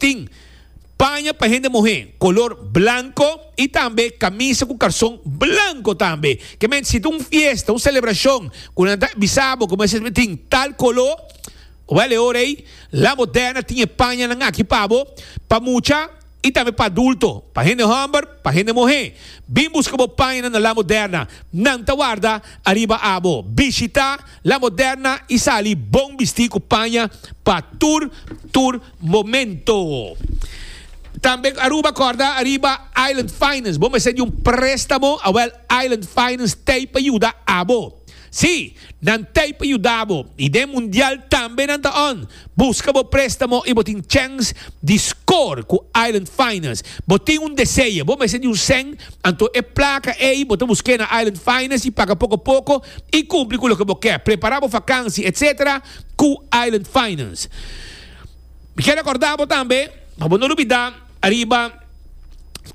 tin paña pa hende muhé kolor blanko i tambe kamisa ku karson blanko tambe. Ke mente si ta un fiesta, un selebrashon ku nan ta bisa bo ku mester mi tin tal koló, wèl e ora ei La Moderna tin e pañanan aki pa bo, pa mucha i tambe pa adulto, pa hende hòmber, pa hende muhé. Bin buska bo pañanan na La Moderna, nan ta warda ariba abo. Bishitá La Moderna i sali bon bistí ku paña pa tur tur. momento. Tambe Aruba corda ariba Island Finance. Bo mester di un préstamo, awel Island Finance tei pa yuda abo. Sí, nan tei pa yudabo i den mundial tambe nan ta on. Buska bo préstamo i bo tin chèns di score ku Island Finance. Bo tin un deseo, bo mester di un sèn, anto e plaka ei bo ta busk'é na Island Finance i paga poko poko i kumpli ku loke bo kè. Prepará bo fakansi etc. Ku Island Finance. Mi ke rekorda bo tambe, pa bo no lubida, ariba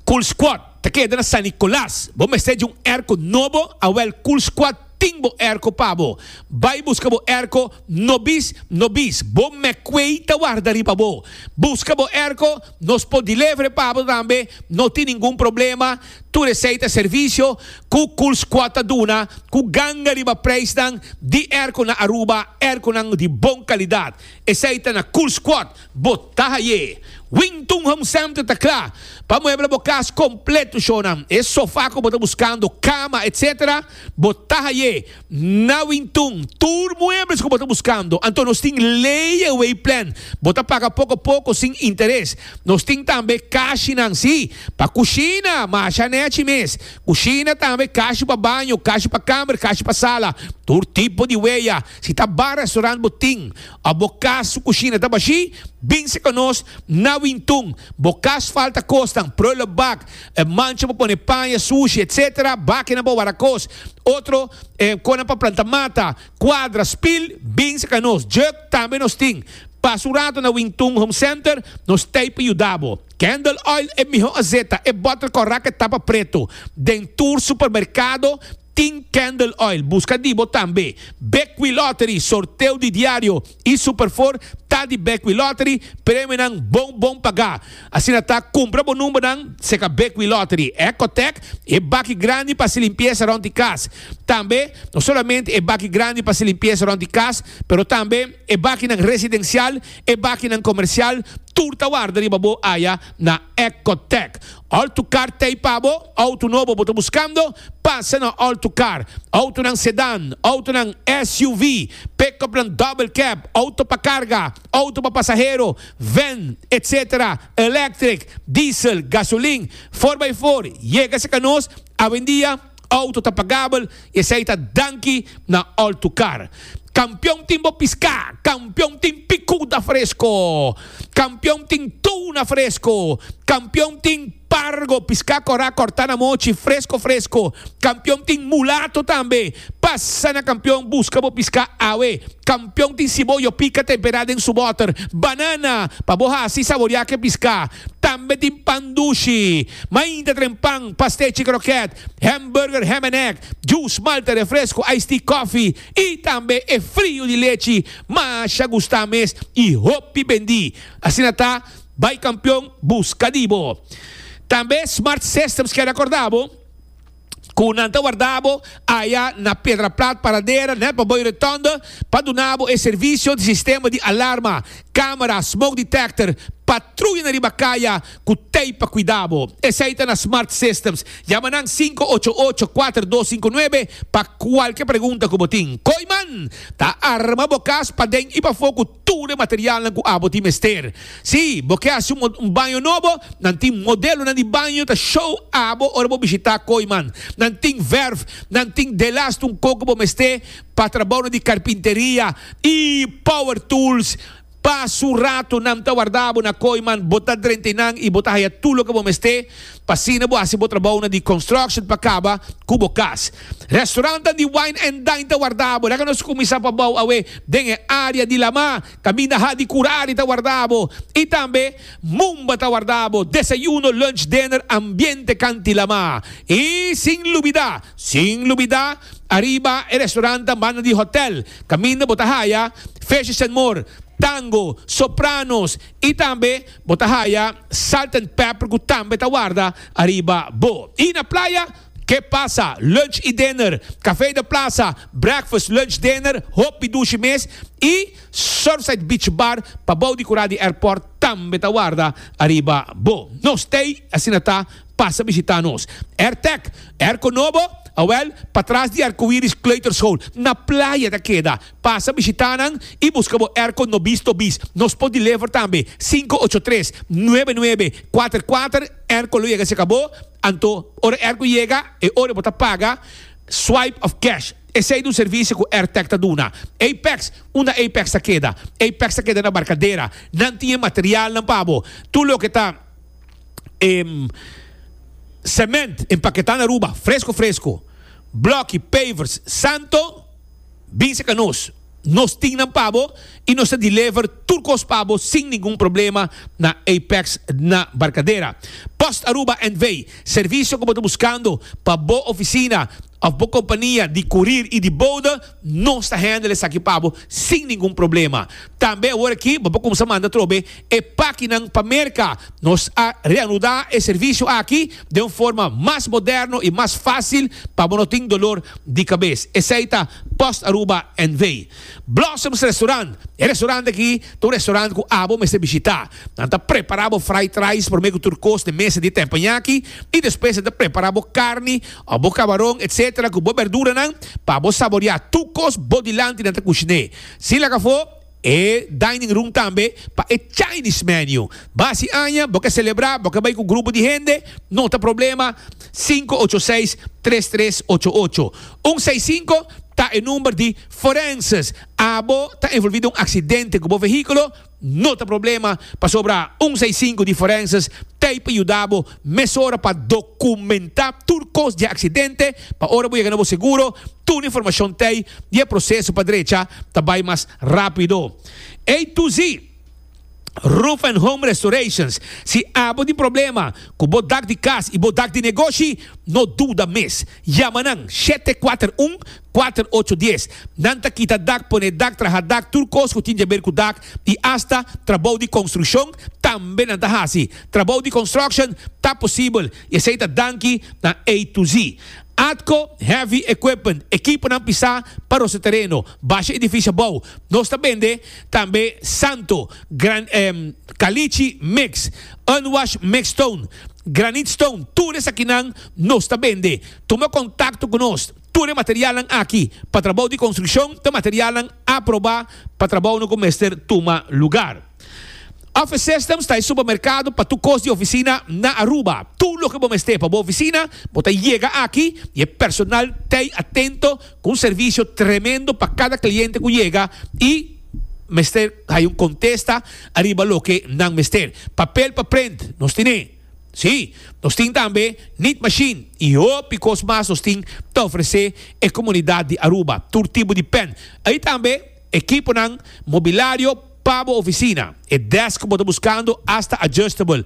Cool Squad ta keda na San Nicolas. Bo mester dje un erko nobo, awel Cool Squad tin bo erko pa bo. Bai buska bo erko nobis nobis. Bo Mecway ta warda riba bo. Buska bo erko, nos por dilevere pa bo tambe, no tin ningun problema. Tur esei ta servisio ku Cool Squad ta duna ku ganga riba preisnan di erko na Aruba, erkonan di bon kalidat. Esei ta na Cool Squad, bo ta haye. Wington Home Center ta kla pa muebla bo kas kompleto shownan. E sofa ku bo ta buskando, kama, etc. Bo ta haye na Wington. Tur muebles ku bo ta buskando. Anto nos tin layaway plan. Bo ta paga poko poko sin interes. Nos tin tambe kashinan, si, pa kushina, masha nechi mes. Kushina tambe, kashi pa baño, kashi pa kamer, kashi pa sala. Tur tipo di weya. Si ta bar restaurant bo tin of bo cas su cushina ta bashi, binse cu nos na Wintun. Bo cas falta cosnan, prullenbak, e mancha pa pone paña, sushi, etc. Bakinan pa wara cos. Otro e conan pa planta mata, cuadra, spil, binse cu nos. Juk tambe nos tin. Pasa un rato na Wintun Home Center, nos t'ey pa yuda bo. Candle oil e miho azeta, e bottle corrac e tapa preto. Den tur supermercado, Tin Candle Oil buska di bo tambe. Bekwee Lottery, sorteo di diario y Superfour ta di Bekwee Lottery, premionan bon bon paga. Asina ta, cumpra bo numbernan seca Bekwee Lottery, Ecotec, e baki grandi pa haci limpieza rond di cas. Tambe, no solamente e baki grandi pa haci limpieza rond di cas, pero tambe e bakinan residencial, e bakinan comercial, tur ta warda riba bo aya na Ecotec. Autocar t'ei pa bo? Auto nobo bo ta buskando? Pasa na Autocar. Autonan sedan, autonan SUV, pick-upnan double cab, auto pa carga, auto pa pasahero, van, etc. Electric, diesel, gasolin, four by four, yega cerca nos, awendia, Auto ta pagabel y esey ta danki na Altucar. Campeon tin bo pisca, campeon tin picuda fresco, campeon tin tuna fresco, campeon tin pargo, pisca cora corta na mochi, fresco fresco, campeon tin mulato tambe. Pasa na Campeon busca bo pisca awe. Pion tin siboyo pika temperá den su bòter. Banana pa bo hasi saboriá ke piská. Tambe tin pan dushi. Mainta tren pan, pastechi krokèt, hèmburger, hèm en èg, jus, malte, refresku, ice tea, kòfi i tambe e friu di lechi masha gustá mes i hopi bendí. Asina ta, bai kampion buska di bo. Tambe Smart Systems kèn akordá bo. ku nan ta warda bo aya na Pedra Plat Paradera nèt pa Boy Retonde pa duna bo e servisio di sistema di alarma, kamera, smoke detector, patruyanan riba kaya ku tei pa kuida bo. Esei ta na Smart Systems. Yama nan sinku ocho ocho kuater dos sinku nuebe pa kualke pregunta ku bo tin. Koiman ta arma bo kas paden i pafó ku. tur e materialnan ku abo tin mester. Si bo ke hasi un baño nobo, nan tin modelonan di baño ta show abo ora bo bishitá Kooiman. Nan tin verf, nan tin delast un koko bo mester pa trabounan di karpinteria i power tools. Pa su rato nan ta warda abo na Kooiman, bo ta drenta nan i bo ta haya tur loke bo mester. pa asina bo hasi bo trabounan di construction pa caba cu bo cas. Restaurantan di wine and dine ta wardabo, laga nos cuminsa pa bou awe den e area di Lamá, caminda ha di Curare ta wardabo y tambe Mumba ta wardabo, desayuno, lunch, dinner, ambiente canti Lamá y sin lubida, sin lubida, ariba e restaurantan banda di hotel, caminda bo ta haya Fishes and More, Tango, Sopranos, I tambe bo ta haya salt and pepper ku tambe ta warda ariba bo. I na playa? Ke pasa? Lunch i dinner, kafé de plasa, breakfast, lunch, dinner, hopi dushi mes i Surfside Beach Bar pa bou di kura di airport tambe ta warda ariba bo. No stay, asina ta, pasa bishita nos. Airtec, Airco Nobo? Awel, patras di Arcoiris Kleuterschool, na playa ta keda. Pasa bishitá nan i buska bo airco no bisto bis. Nos por deliver tambe sinku ocho tres nuebe nuebe kuater kuater airco lo yega cerca bo. Anto ora e airco yega e ora bo ta paga swipe of cash. Esey ta un servicio cu Airtech ta duna. Apex, Unda Apex ta keda? Apex ta keda na Barcadera. Nan tin e materialnan pa bo. Tur loke ta cement empaketá na Aruba fresco fresco, bloki, pavers, santo. Bisa ka nos, nos tin nan pa bo i nos ta deliver tur kos pa bo sin ningun problema na Apex na Barcadera. Post Aruba NV. Servisio ku bo ta buskando pa bo ofisina òf bo kompania di kurir i di bode, nos ta handle esaki pa bo sin ningun problema. Tambe aworakí bo por kumsa manda trobe e pakinan pa Merka. Nos a reanudá e servisio aki den un forma mas moderno i mas fásil pa bo no tin dolor di kabes. Esei ta Post Aruba NV. Blossoms Restaurant, E restaurant aki ta un restaurant ku abo mester bishitá. Nan ta prepará bo fried rice promé ku tur kos den mesa di teppanyaki i despues nan ta prepará bo karni òf bo kabaron etc ku bo berduranan pa bo saboreá tur kos bo dilanti nan ta kushiné. Sin laga afó. E dining room tambe pa e Chinese menu. Basi aña bo ke celebra, bo ke bai ku grupo di hende, no ta problema, sinku ocho seis, tres tres ocho ocho. Un seis sinku ta e number di forenses. Abo ta envolvi den un aksidente ku bo vehikulo, no ta problema, pasobra un seis sinku di forenses ta ei pa yuda bo Mesora pa dokumentá tur kos di e aksidente pa ora bo yega na bo seguro tur informashon t'ei i e proseso pa drecha ta bai mas rápido. A to Z Roof and Home Restorations, Si abo tin problema ku bo dak di kas i bo dak di negoshi, no duda mes. Yama nan shete kuater un, kuater ocho dies. Nan ta kita dak, pone dak, traha dak, tur kos ku tin djaber ku dak i asta trabou di konstrukshon tambe nan ta hasi. Trabou di construction ta posibel y esey ta danki na A to Z. Atco Heavy Equipment, ekiponan pisá pa rose tereno, basha edifishi abou, nos ta bende tambe Santo, gran Caliche mix, Unwash mix stone, Granite stone, tur esakinan nos ta bende. Tuma contacto cu nos. Tur e materialnan aki pa trabou di construccion ta materialnan aprobá pa trabounan cu mester tuma lugar. Office Systems ta e supermerkado pa tur kos di ofisina na Aruba. Tur loke bo mester pa bo ofisina, bo ta yega aki i e personal t'ei atento ku un servisio tremendo pa kada kliente ku yega i mester haña un kontesta ariba loke nan mester. Papel pa prent, nos tin e. Sí, nos tin tambe nit machine i hopi kos mas nos tin ta ofresé e komunidat di Aruba. Tur tipo di pen. Ei tambe ekiponan mobilario. Pa bo oficina, e desk bo ta buscando hasta adjustable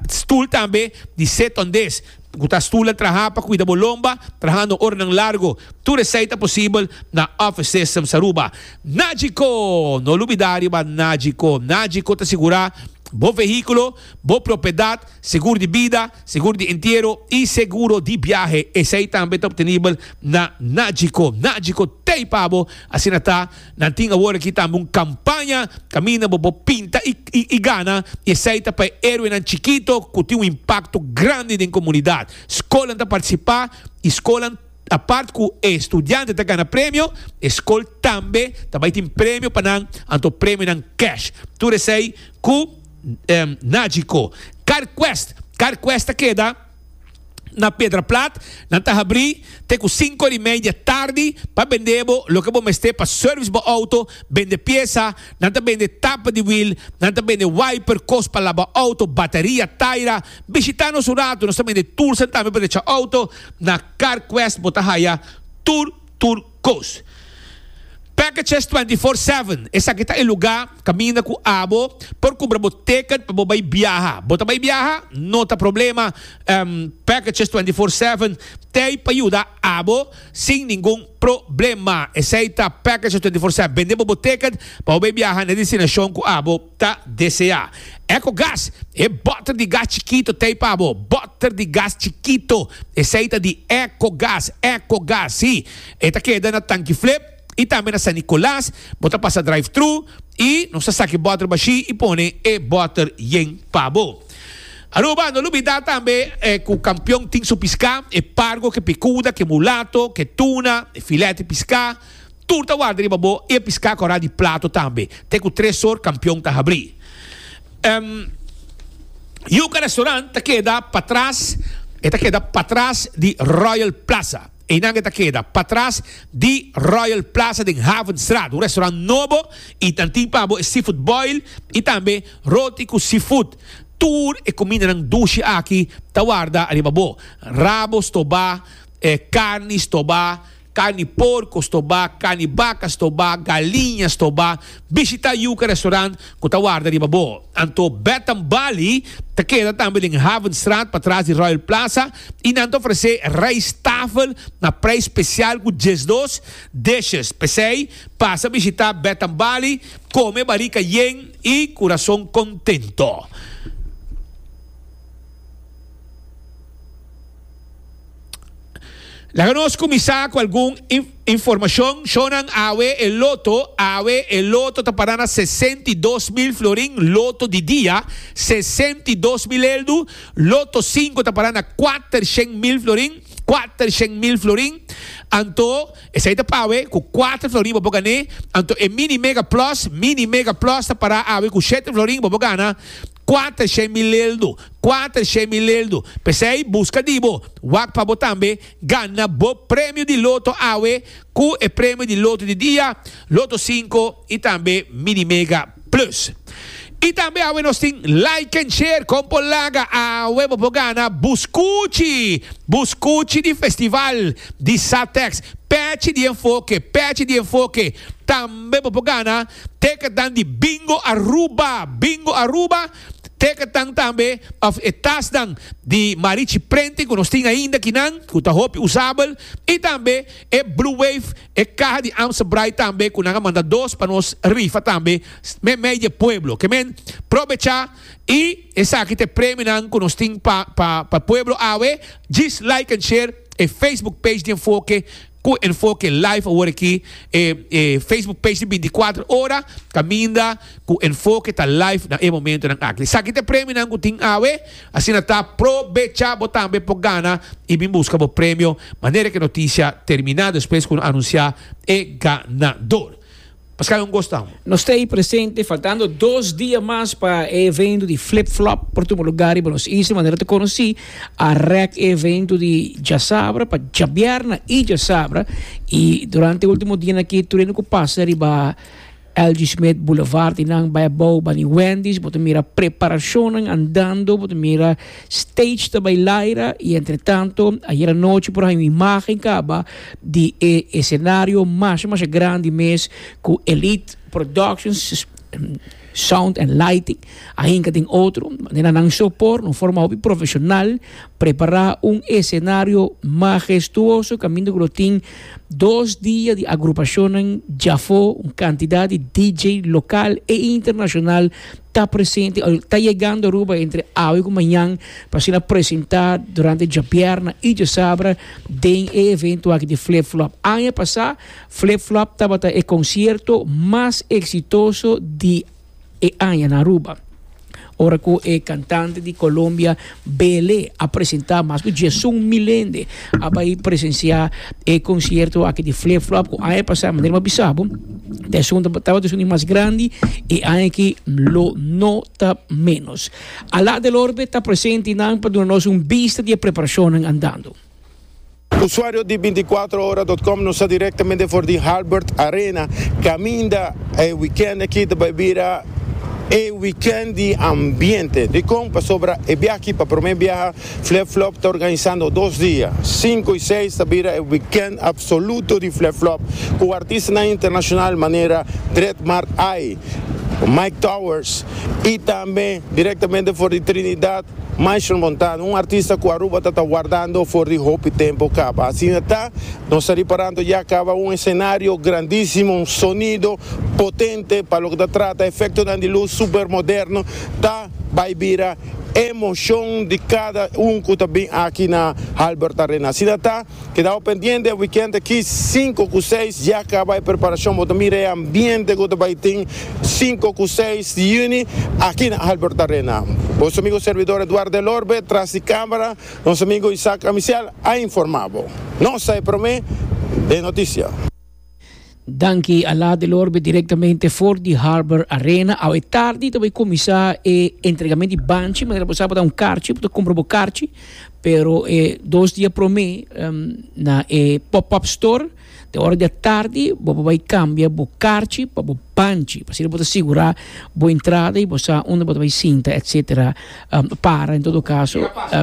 stoel tambe di sit-on desk cu ta stoel a traha pa cuida bo lomba trahando oranan largo. Tur esai ta posibel na Office Systems Aruba. Nagico! No lubida riba Nagico. Nagico ta sigura bo vehiculo, bo propiedad, segur di bida, segur di entiero y seguro di biahe. Esai tambe ta obtenibel na Nagico. Nagico t'ey pa bo, asina ta. Nan tin awor aki tambe un campaña caminda bo por pinta y gana y esey ta pa e heroenan chikito cu tin un impacto grandi den comunidad. Scolnan ta participa y scolnan apart cu e studiante ta gana premio, e scol tambe ta bay tin premio pa nan anto premionan cash. Tur esey cu Nagico. Carquest, Carquest ta keda. na Pedra Plat, nan ta habrí te ku sinku di media tardi pa bendé bo loke bo mester pa sèrvis bo outo, bende piesa, nan ta bende tapa di wiel, nan ta bende wiper, kos pa laba outo, bataria, taira. Bishitá nos un ratu, nos ta bende tulsan tambe pa drecha outo, na CarQuest bo ta haya tur tur. Coast. Package Chest Twenty Four Seven, Esaki ta e lugá kaminda ku abo por kumbra bo tèkèt pa bo bai biaha. Bo ta bai biaha? No ta problema, Package Chest Twenty Four Seven t'ei pa yuda abo sin ningun problema. Esei ta Package Chest Twenty Four Seven, bende bo bo tèkèt pa bo bai biaha na e destinashon ku abo. ta deseá. Ecogas, E bòter di gas chikito t'ei pa bo. Bòter di gas chikito, esei ta di Ecogas. Ecogas, sí, e ta keda na Tanki Flip i tambe na San Nicolas. Bo ta pasa drive-thru i nos ta saki bòter bashí i pone e bòter yen pa bo. Aruba, no lubidá tambe ku Kampion tin su piská, e pargo, ke pikuda, ke mulato, ke tuna, e filèt di piská. Tur ta warda riba bo e piská kòrá di plato tambe, te ku tres sor kampion ta habrí. Yuka Restaurant ta keda patras, e ta keda patras di Royal Plaza. Einan e ta keda patras di Royal Plaza den Havenstraat. Un restaurant nobo i nan tin pa bo e seafood boil i tambe roti ku seafood. Tur e kumindanan dushi aki ta warda riba bo, rabo stobá, karni stobá, Carni porco sto ba, carni baca sto ba, galiña sto ba. Bishita Yuca Restaurant cu ta warda riba bo. Anto Bed and Bali ta keda tambe den Havenstraat patras di Royal Plaza y nan ta ofrece rijsttafel na prijs special cu diesdos dishes. P'esey pasa bishita Bed and Bali, come barica yen y curason contento. Laga nos kuminsá ku algun informashon. Shonnan awe e loto, awe e loto ta para na sesenta i dos mil florin loto di dia, sesenta i dos mil eldu, loto sinku ta para na kuatershen mil florin, kuatershen mil florin, anto esei ta para awe ku kuater florin bo por gan'é, anto e mini mega plus, mini mega plus ta para awe ku shete florin bo por gana. Cua ta shemileldo, cua ta shemileldo. P'esey busca di bo, wak pa bo tambe gana bo premio di loto awe cu e premio di loto di dia, loto cinco y tambe mini mega plus. Y tambe awe nos tin like and share con por laga awe bo por gana buscuchi, buscuchi di festival di Satex, pechi di enfoke, pechi di enfoke. Tambe bo por gana. Teke tan di Bingo Aruba, Bingo Aruba, teke tan tambe of e tasnan di Marichi Prenting ku nos tin ainda kinan ku ta hopi usabel i tambe e Blue Wave, e kaha di Amstel Braai tambe ku nan a manda dos pa nos rifa tambe meimei di e pueblo. Ke men probecha i esaki ta e premionan ku nos tin pa pa pa e pueblo awe. Djis like and share e Facebook page di Enfoke Cu enfoke live awor aki e Facebook page di binticuater ora caminda cu enfoke ta live na e momentonan aki. Esaki ta e premionan cu tin awe, asina ta probecha bo tambe por gana y bin busca bo premio manera cu e noticia termina despues cu no anuncia e ganador. Paskei un gosta amo? Nos ta ei presente faltando dos dia mas pa e evento di Flip Flop por tuma lugar riba nos isla, manera ta conoci a rek e evento di djasabra pa djabierna y djasabra y durante e ultimo dianan aki tur e nan cu pasa riba LG Smith Boulevard y nan bay a bou bani Wendy's bo ta mira preparacionnan andando bo ta mira. Stage ta bay laira y entretanto ayer anochi por haña un imagen caba di e escenario masha masha grandi mes cu Elite Productions Sound and Lighting a hinca den otro manera na nan so por un forma hopi profesional prepara un escenario magestuoso caminda cu lo tin dos dia di agrupacionnan djafo un cantidad di DJ local e internacional ta presente o ta yegando Aruba entre awe cu mañan pa asina presenta durante djabièrnè y djasabra den e evento aki di Flip Flop. Aña pasá Flip Flop tabata e concierto mas exitoso di e aña na Aruba, ora cu e cantante di Colombia, Bele a presenta mas ku diesun mil hende a bai presensia e konsierto aki di Flip Flop ku aña pasa manera mi a bisa bo ta esun tabata esun di mas grandi i aña aki lo no ta menos. Alaa del Orbe ta presente nan pa duna nos un bista di e preparashonnan andando. Usuario di binticuatrohora dot com nos ta directamente for di Halbert Arena caminda e weekend aki ta bay bira e weekend di ambiente. Dicon? Pasobra e biaha aki pa prome biaha Flip Flop ta organisando dos dia, cinco y seis ta bira e weekend absoluto di Flip Flop cu artistanan internacional manera Dreadmark I, Mike Towers y tambe directamente for di Trinidad Maestro Montano, un artista cu Aruba ta ta wardando for di hopi tempo caba. Asina ta, nos ta riparando ya caba un escenario grandisimo, un sonido potente pa loke ta trata efectonan di luz super moderno, ta bay bira emocion di cada un cu ta bin aki na Albert Arena. Asina ta. Kedaw pendiente e weekend aki sinku ku seis ya kaba e preparashon bo ta mira e ambiente ku ta bai tin sinku ku seis di yüni aki na Albert Arena. Bo su amigo servidor Eduardo El Orbe tras di kamera nos amigo Isaac Amisial a informa bo. Nos ta e prome den notisia. Danki a laat di lorbe directamente for di Harbor Arena. Awe tardi ta bay comisa e entregamen di banchi, manera bo sa bo ta un karchi, bo ta compra bo karchi, pero e dos dia prome na e pop-up store te ora di atardi bo bay cambia bo karchi pa bo banchi, asina bo ta sigura bo entrada y bo sa unda bo ta bay sinta etcetera para en todo caso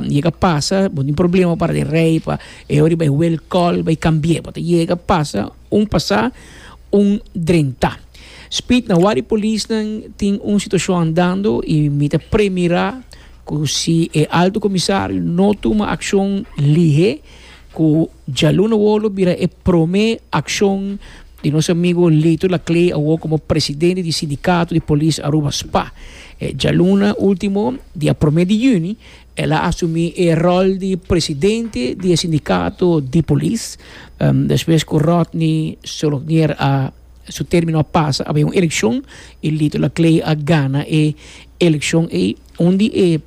yega pasa bo tin problema para di rey pa E ora di bai wel kòl, bai kambi'é, bo ta yega pasa un pasá, un drentá. Speed na wak di polisnan tin un situashon andando i mi ta premirá ku si e Alto Komisario no tuma akshon lihé ku djalun awor lo bira e promé akshon di nos amigu Lito Laclé awor komo presidente di Sindikato di Polis Aruba, spa. Djaluna último dia promé di yüni. El a asumí e ròl di presidente di e sindikato di polis despues ku Rodney Solognier a su término a pasa a bai un elekshon i Lito Laclée a gana e elekshon ei. Un di e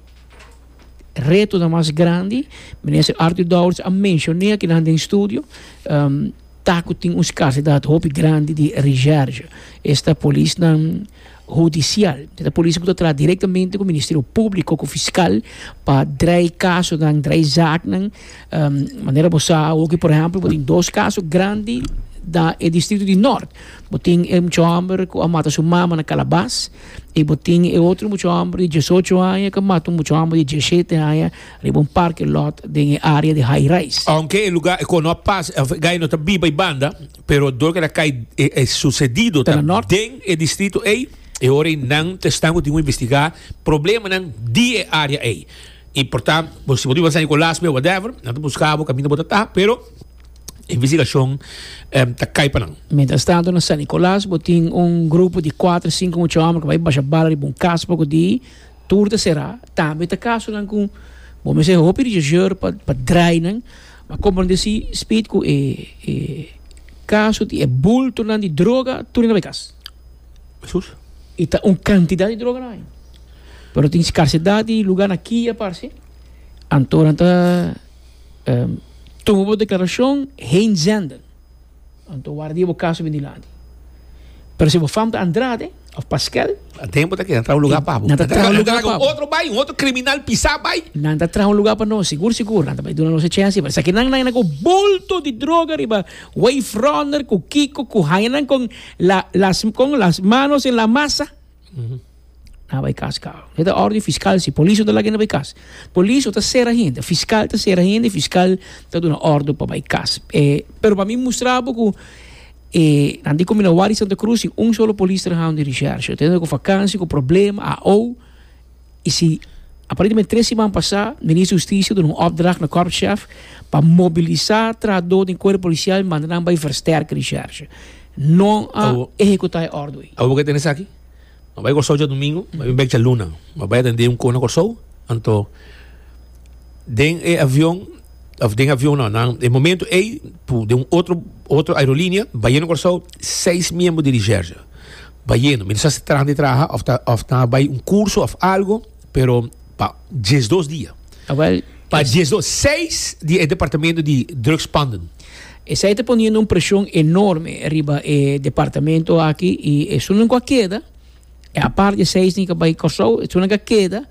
retonan mas grandi minister Arthur Dowers a menshoné akinan den studio ta ku tin un skarsidat hopi grandi di reserge. Esta polisnan Hudicial. E ta polis ku ta traha direktamente ku Ministerio Públiko, ku fiskal, pa draai kasonan, draai zaaknan. Manera bo sa awoki, por ehèmpel, bo tin dos kaso grandi na e distrito di Nort. Bo tin e mucha hòmber ku a mata su mama na Kalabas i bo tin e otro mucha hòmber di diesocho aña ku a mata un mucha hòmber di diesshete aña riba un parke lòt den e área di High Rise. Ounke e lugá e kono a pasa, e gay no ta biba ei banda. pero dor ke ta kai e susedido ta den e distrito ei, e ora ei nan ta esnan ku tin ku investigá problemanan di e área ei. I por ta, bo si bo ta biba San Nikolas me whatever, nan ta buska bo kaminda bo ta ta, pero e investigashon ta kai pa nan. Mientras tanto na San Nikolas bo tin un grupo di kuater sinku mucha hòmber ku bai basha bala riba un kas poko di. tur ta será, tambe ta casonan cu bo mester haci hopi rechercheur pa pa draainan, a comprende si speed cu e e caso di e bultonan di droga tur na bay cas. Jesús. Y ta un cantidad di droga na bay, pero tin scarcedad di lugar na Kia parce, anto nan ta tuma bo declaracion heen zenden. Anto warda di e bo kaso bin dilanti. Pero si bo fam ta Andrade of Paskel. Den bo ta keda traha un luga pa bo. Nan ta traha un luga pa bo. Otro bai, un otro criminal pisa bai. Nan ta traha un luga pa nos, sigur sigur. Nan ta bai duna nos e chance. Pero esaki nan nan yanda cu bulto di droga riba Wave Runner cu Kiko cu haña nan con las manos en la masa. Na bai kas kau. E ta órden fiskal si polis no ta laga hende bai kas. Polis no ta sera hende, fiskal ta sera hende i fiskal ta duna órden pa bai kas. E, pero pa mi mustra bo ku e nan di Comunawari Santa Cruz tin un solo polis trahando di Richèrsje. Tene ku fakansia, ku problema, aou. y si aparentemente tres siman pasá Minister Justicia duna un opdracht na Korpschef pa mobilisá trahador den Cuerpo Policial y manda nan bay versterke di Scherche. No a ehecutá e ordo ey. Awo bo ke tene esaki? Bo bay Kòrsou djadumingu, bo bin bek djaluna. Bo bay atendé un kos na Kòrsou, anto den e avion, òf den e avion no, nan e momento ey, den un otro, otro aerolínea, bayé na Kòrsou seis miembro di di Scherche. Bayendo, mi ta sa si traha di traha of ta of ta bay un curso of algo, pero pa diesdos dia. Ah, wel, Pa es- diesdos, seis di e departamento di drugspanden. Esei ta poniendo un presion enorme riba e departamento aki i esunnan ku a keda, e apart di e seis tin ku a bai Kòrsou, esunnan ku a keda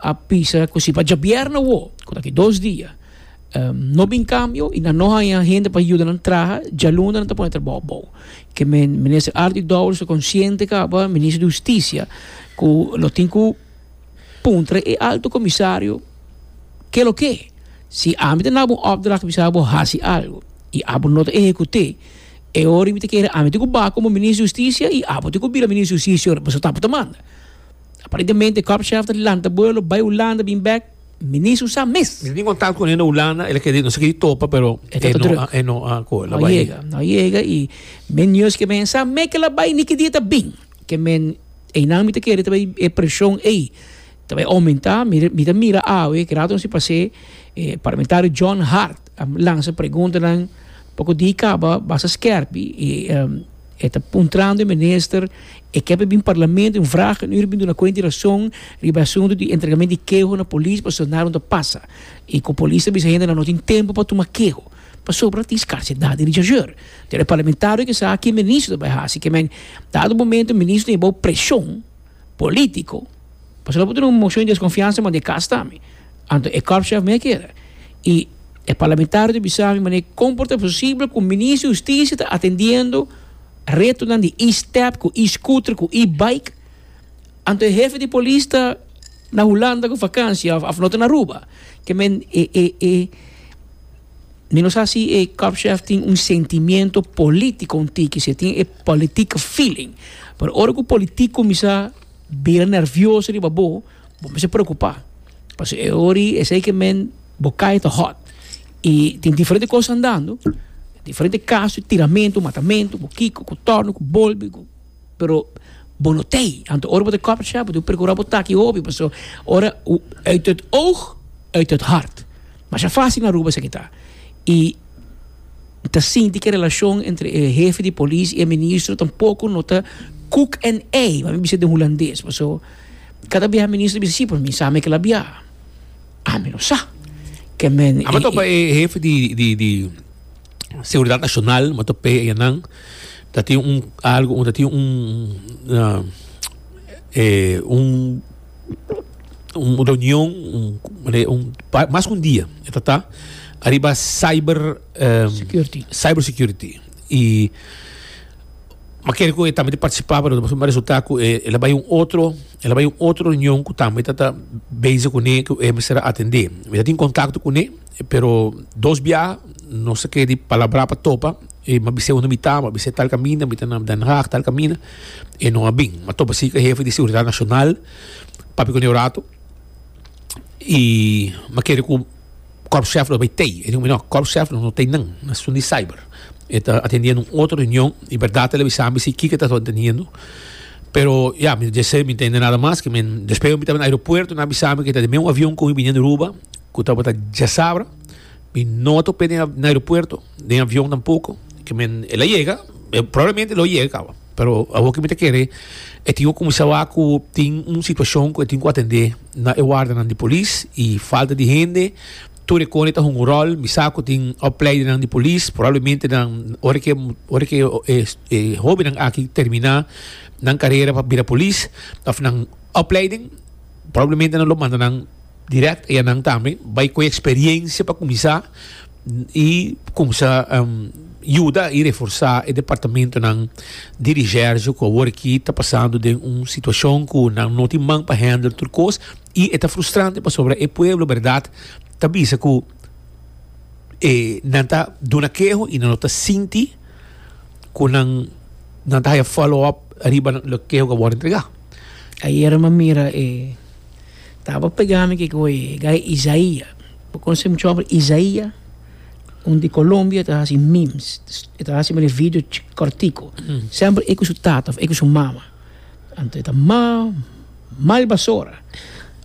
a bisa ku si pa djabièrnè awo, ku ta aki dos dia, No bin kambio i nan no haña hende pa yuda nan traha, djalunda nan ta pone trabou abou. Ke Minister Ardi Dourens ta konsiente kaba Minister di Hustisia ku lo tin ku puntra e Alto Komisario ke lo ke. Si ami ta naba un opdracht mi sa bo hasi algu i abo no ta ehekut'é, e ora i mi ta kere ami tin ku ba komo Minister di Hustisia i abo tin ku bira Minister di Hustisia ora pasobra ta abo ta manda. Aparentemente Korpschef ta lanta bo e lo bai Hulanda bin bèk. Mi ni su sa mes. Mi tin kontak kune na Hulanda, el a kere di nos a kere topa pero E ta e no druk. a e no a koe la No bai. yega, no yega i men news ke men sa me ke la bai ni ki dia ta bin. Ke men einan mi ta kere ta bai e presion ei ta bai oumentá. Mi mi ta mira awe ke rato nos tin pas'é e parlamentario John Hart. A lansa preguntanan pa ku di kaba basa skèrp i e ta puntrando e minister e ke pa bin parlamento un vrag e no iri bin duna kuenta di rason riba e asuntu di entregamentu di keho na polis pa soldado nan ta pasa i ku polis ta bisa hendenan no tin tempu pa tuma keho pasobra tin skarsedad di richasur. Te e parlamentario ke sa ki e minister ta bai hasi ke men dado momento e minister ta ña bou preshon. politico pasobra lo por tene un mocion di desconfiansa manda e cas ta mi anto e korpschef mi a kere y e parlamentario ta bisa mi manera con por ta posible cu minister di husticia ta atendiendo retonan di e step cu e scooter cu e bike anto e hefe di polis ta na hulanda cu vacancia of no ta na aruba ke men e e e Mi no sa si e cupchef tin un sentimiento político un tiki, si e tin e politiek feeling. Pero ora cu politiek cuminsa bira nervioso riba bo, bo mester preocupa. Paso e ori esey que men bo cae ta hot. Y tin diferente cosa andando, diferente caso, tiramento, matamento, cu kiko, cu torno, cu bolbe, cu. Pero bo no t'ei, anto ora bo ta coffee shop bo debe precura bo taki hopi paso ora uit het oog uit het hart masha facil na Aruba esaki ta y ta sinti ki e relacion entre e hefe di polis y e ministro tampoco no ta koek en ei mami bisa den hulandes paso cada bia ministro bisa si pero mi sa me ke la bia ami no sa ke men. Aba topa e hefe di di di. Seguridad Nacional motor pay eyanan ta tin un algo un ta tin un uh, eh, un un reunion un, un mas un dia e ta ta arriba cyber um, security cyber security y ma quiere que también participaba pero después resulta que eh, él vai un otro él vai un otro reunión que también está busy con él que él será atender me tin contacto con él Pero dos biaha nos a kere di palabrá pa topa, e m'a bis'é unda mi ta, m'a bis'é tal kaminda, mi ta na Den Haag tal kaminda, e no a bin. M'a topa si ku e hefe di Seguridat Nashonal, papia ku nan un ratu, i m'a kere ku kòrpshèf lo bai tei. E di ku mi, No, kòrpshèf lo no tei nan, nan asun di cyber. E ta atendiendo un otro reunion, i bèrdat el a bisa mi si kiko e tabata atendiendo. Pero, ya, mi ta dj'esei mi no tende nada mas. Despues mi tabata den aeropuerto, nan a bisa mi ku e ta den meun avion ku mi biniendo Aruba. Cu tabata djasabra. Mi no ta hopi den na aeropuerto, den avion tampoco. Ke men, el a yega, probablemente el lo yega caba. Pero awor ke mi ta kere, e tin cu cuminsá wak cu tin un situacion cu e tin cu atendé na e wardanan di polis, i falta di hende. Tur e kone ta hunga un rol. Mi sa cu tin opleidenan di polis, probablemente nan, ora ke, ora ke e hóbennan aki terminá nan carera pa bira polis, of nan opleiding, probablemente nan lo manda nan. Direct e nan tambe bai cu e experiencia pa cuminsa y cuminsa yuda y reforsa e departamentonan di recherche cu awor aki ta pasando den un situacion cu nan no tin man pa handle tur cos y e ta frustrante pasobra e pueblo berdad ta bisa cu e nan ta duna keho y nan lo ta sinti cu nan ta haya follow up riba lo keho cu awor a entrega. Ayer mi a mira e. Tabo pega mi kiko e gai Isaia. Bo kono se mucha hombre Isaia? Un di Colombia ta hasi memes. E ta hasi mene video cortico. Semper e ku su tata of e ku su mama. Anto e ta mal, mal basora.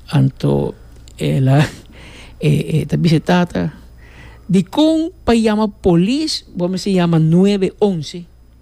Anto e la e ta bisa e tata, Dikon pa yama polis bo mester yama nuebe onse?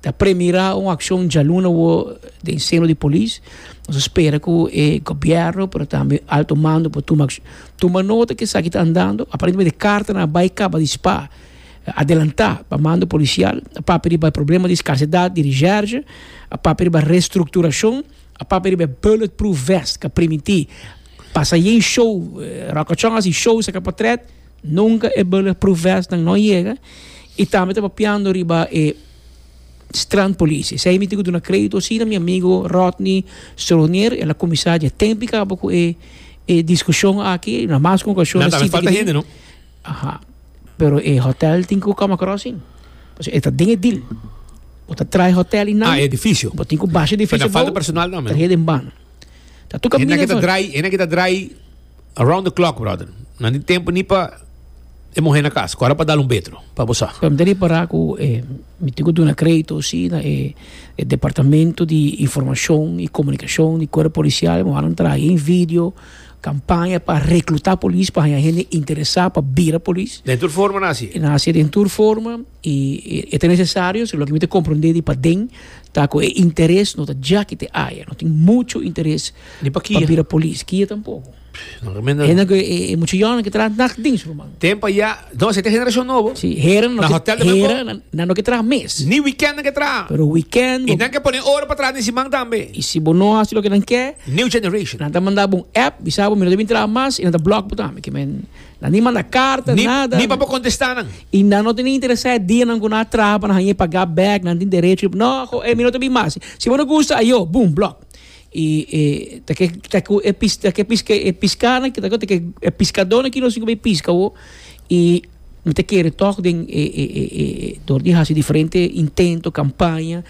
ta premira un accion djaluna wo den seno di polis nos a spera cu e gobierno pero tambe alto mando por tuma accion tuma nota cu esaki ta andando aparentemente cartanan a bay caba di spa adelanta pa mando policial a papia riba e problema di scarcedad di reserge a papia riba restructuracion a papia riba e bullet proof vest ca primiti pasa ayen show roca chong a haci show saca potret Nunka e bulletproof vest nan no yega y tambe ta papiando riba e strand police. Esey mi tin cu duna credito asina mi amigo Rodney Stronier, el a cuminsa dje tempo caba cu e e discusion aki, na mas cu un ocasion Na ta haber falta hende, no? Aha. Pero e hotel tin cu cama crossing. Pasobra e ta den e deal. Bo ta traai hotel y nan. Ah, e edificio. Bo tin cu basha e edificio Pero ta falta abou, personal tambe, no? trah'e den ban. Ta tucu Hende aki ta draai, hende aki ta draai Around the clock brother. Nan tin tempo ni pa e muhe na cas. Cora pa dal un betro pa bo sa. Pero mi ta repara cu mi tin cu duna credito si na e departamento di informacion y comunicacion di cuerpo policial. Moa nan traha ahi video campaña pa recluta polis pa haña hende interesa pa bira polis. Den tur forma na haci. Na haci den tur forma y e ta necesario si loke mi ta comprende di paden ta cu e interes no ta djaki te aya. No tin mucho interes. Ni pa kia. Pa bira polis. Kia tampoco. No remenda. Hende que e mucha yonan que traha nacht dins ruman. Tempo ya. No, se te generacion nobo. Si, hera no. Na hotel de Manco. Hera na no que traha mes. Ni weekend que traha. Pero weekend. Y nan que pone ora pa traha den siman tambe. Y si bo no haci loke nan ke. New generation. Nan ta manda bo un app bisa bo mi no ta bin traha mas y nan ta block bo tambe. Ke men nan ni manda carta ni nada. Ni pa bo contesta nan. Y nan no ta ni interesa e dia nan cu nan a traha pa nan haña e paga bek. Nan tin derecho di. No, mi no ta bin mas. Si bo no gusta ayo, boom, block. Y e ta ke ta ku e pis ta ke pis ke e piskana ta ku ta ke e piskadónan ki nos tin ku bai piska awo y mi ta kere tòg den e e e e e dor di hasi diferente intento kampaña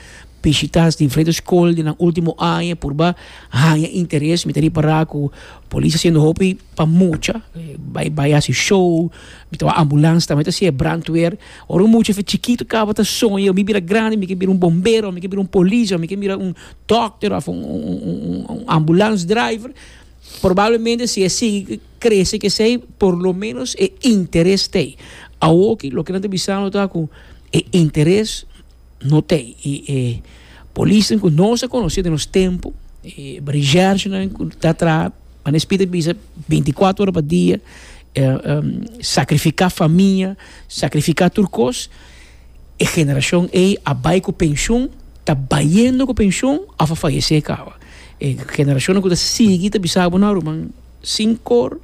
bishita diferente skol den nan ultimo aña por ba haña interes mi ta ripará ku polis a hasiendo hopi pa mucha bai bai hasi show mi ta wak ambulans tambe ta hasié brandweer ora un mucha chikito kaba ta soña mi bira grandi mi ke bira un bombero mi ke bira un polis o mi ke bira un Dokter of un ambulance driver probablemente si e sigui krese kesey por lo menos e interes tey awoki loke nan ta bisando ta ku e interes no tey y e polisnan ku nos a konosé den nos tempo e recherchenan ku ta traha Manes Pita a bisa binti kuater ora pa dia sakrifika famia sakrifika tur kos. E generacion ey a bay cu pensioen, ta bayendo cu pensioen of a fayece caba. E generacionnan cu ta sigui ta bisa bo, no ruman, cinco or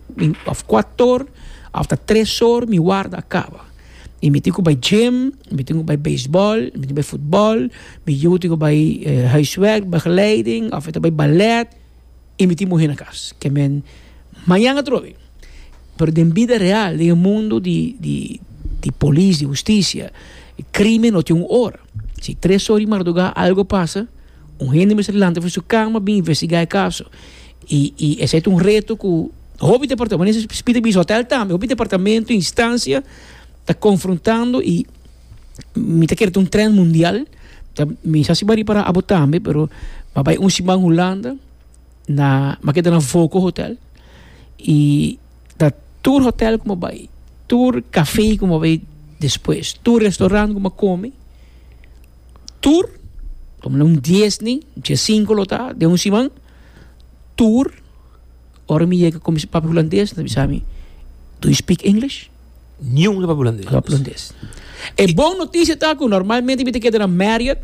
of cuatro or of ta tres or mi warda a caba. Y mi tin cu bay gym, mi tin cu bay baseball, mi tin cu bay football, mi yu tin cu bay huiswerk, begeleiding, of e ta bay ballet. I mi tin muhé na kas, ke men mañan atrobe. Pero den bida real, den e mundu di, di, di polis, di hustisia, krímen lo tin un ora. Si tres or di mardugá algu a pasa, un hende mester lanta for di su kama bin investigá e kaso. I, i esei ta un reto ku hopi departamentu, men nesis Spiti a bisa hotèl tambe, hopi departamentu, instansia ta konfrontando i. mi ta kere ta un trend mundial ta mi sa si ba riba abo tambe pero a bai un siman hulanda na mi a keda na voco hotel y ta tur hotel ku mi a bai tur cafe ku mi a bai despues tur restaurant ku mi a kome tur ponele un dies ni dies sinku lo ta den un siman tur ora mi yega kominsa papia hulandes ta bisa mi do you speak English. Niun lo Holandés. E bon noticia ta cu normalmente mi ta keda na Marriott.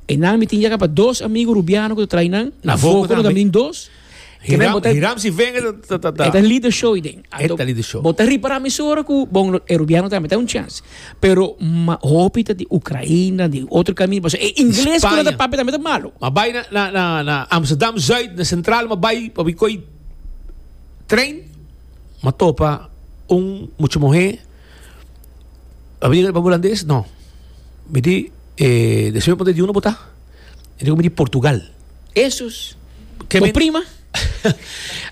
Enan mi tin yaga pa dos amigo rubiano cu ta traai nan. Na Voco tambe. Botanan min dos. Hiram, Hiram si venga ta ta ta. E ta lead the show den. E ta lead the show. Bo ta ripara mi sora cu bon e rubiano tambe ta un chance. Pero ma hopi ta di Ucraina, di otro camin pasobra e ingles cu nan ta papia tambe ta malo. Ma bai na na na Amsterdam Zuid na Centraal ma bai pa bai coy train. M'a topa un mucha muhé, a bini riba Hulandes? No. Mi di, e, despues mi punta, di unda bo ta? E dico, mi di Portugal. Esus! Ke Bo men- prima?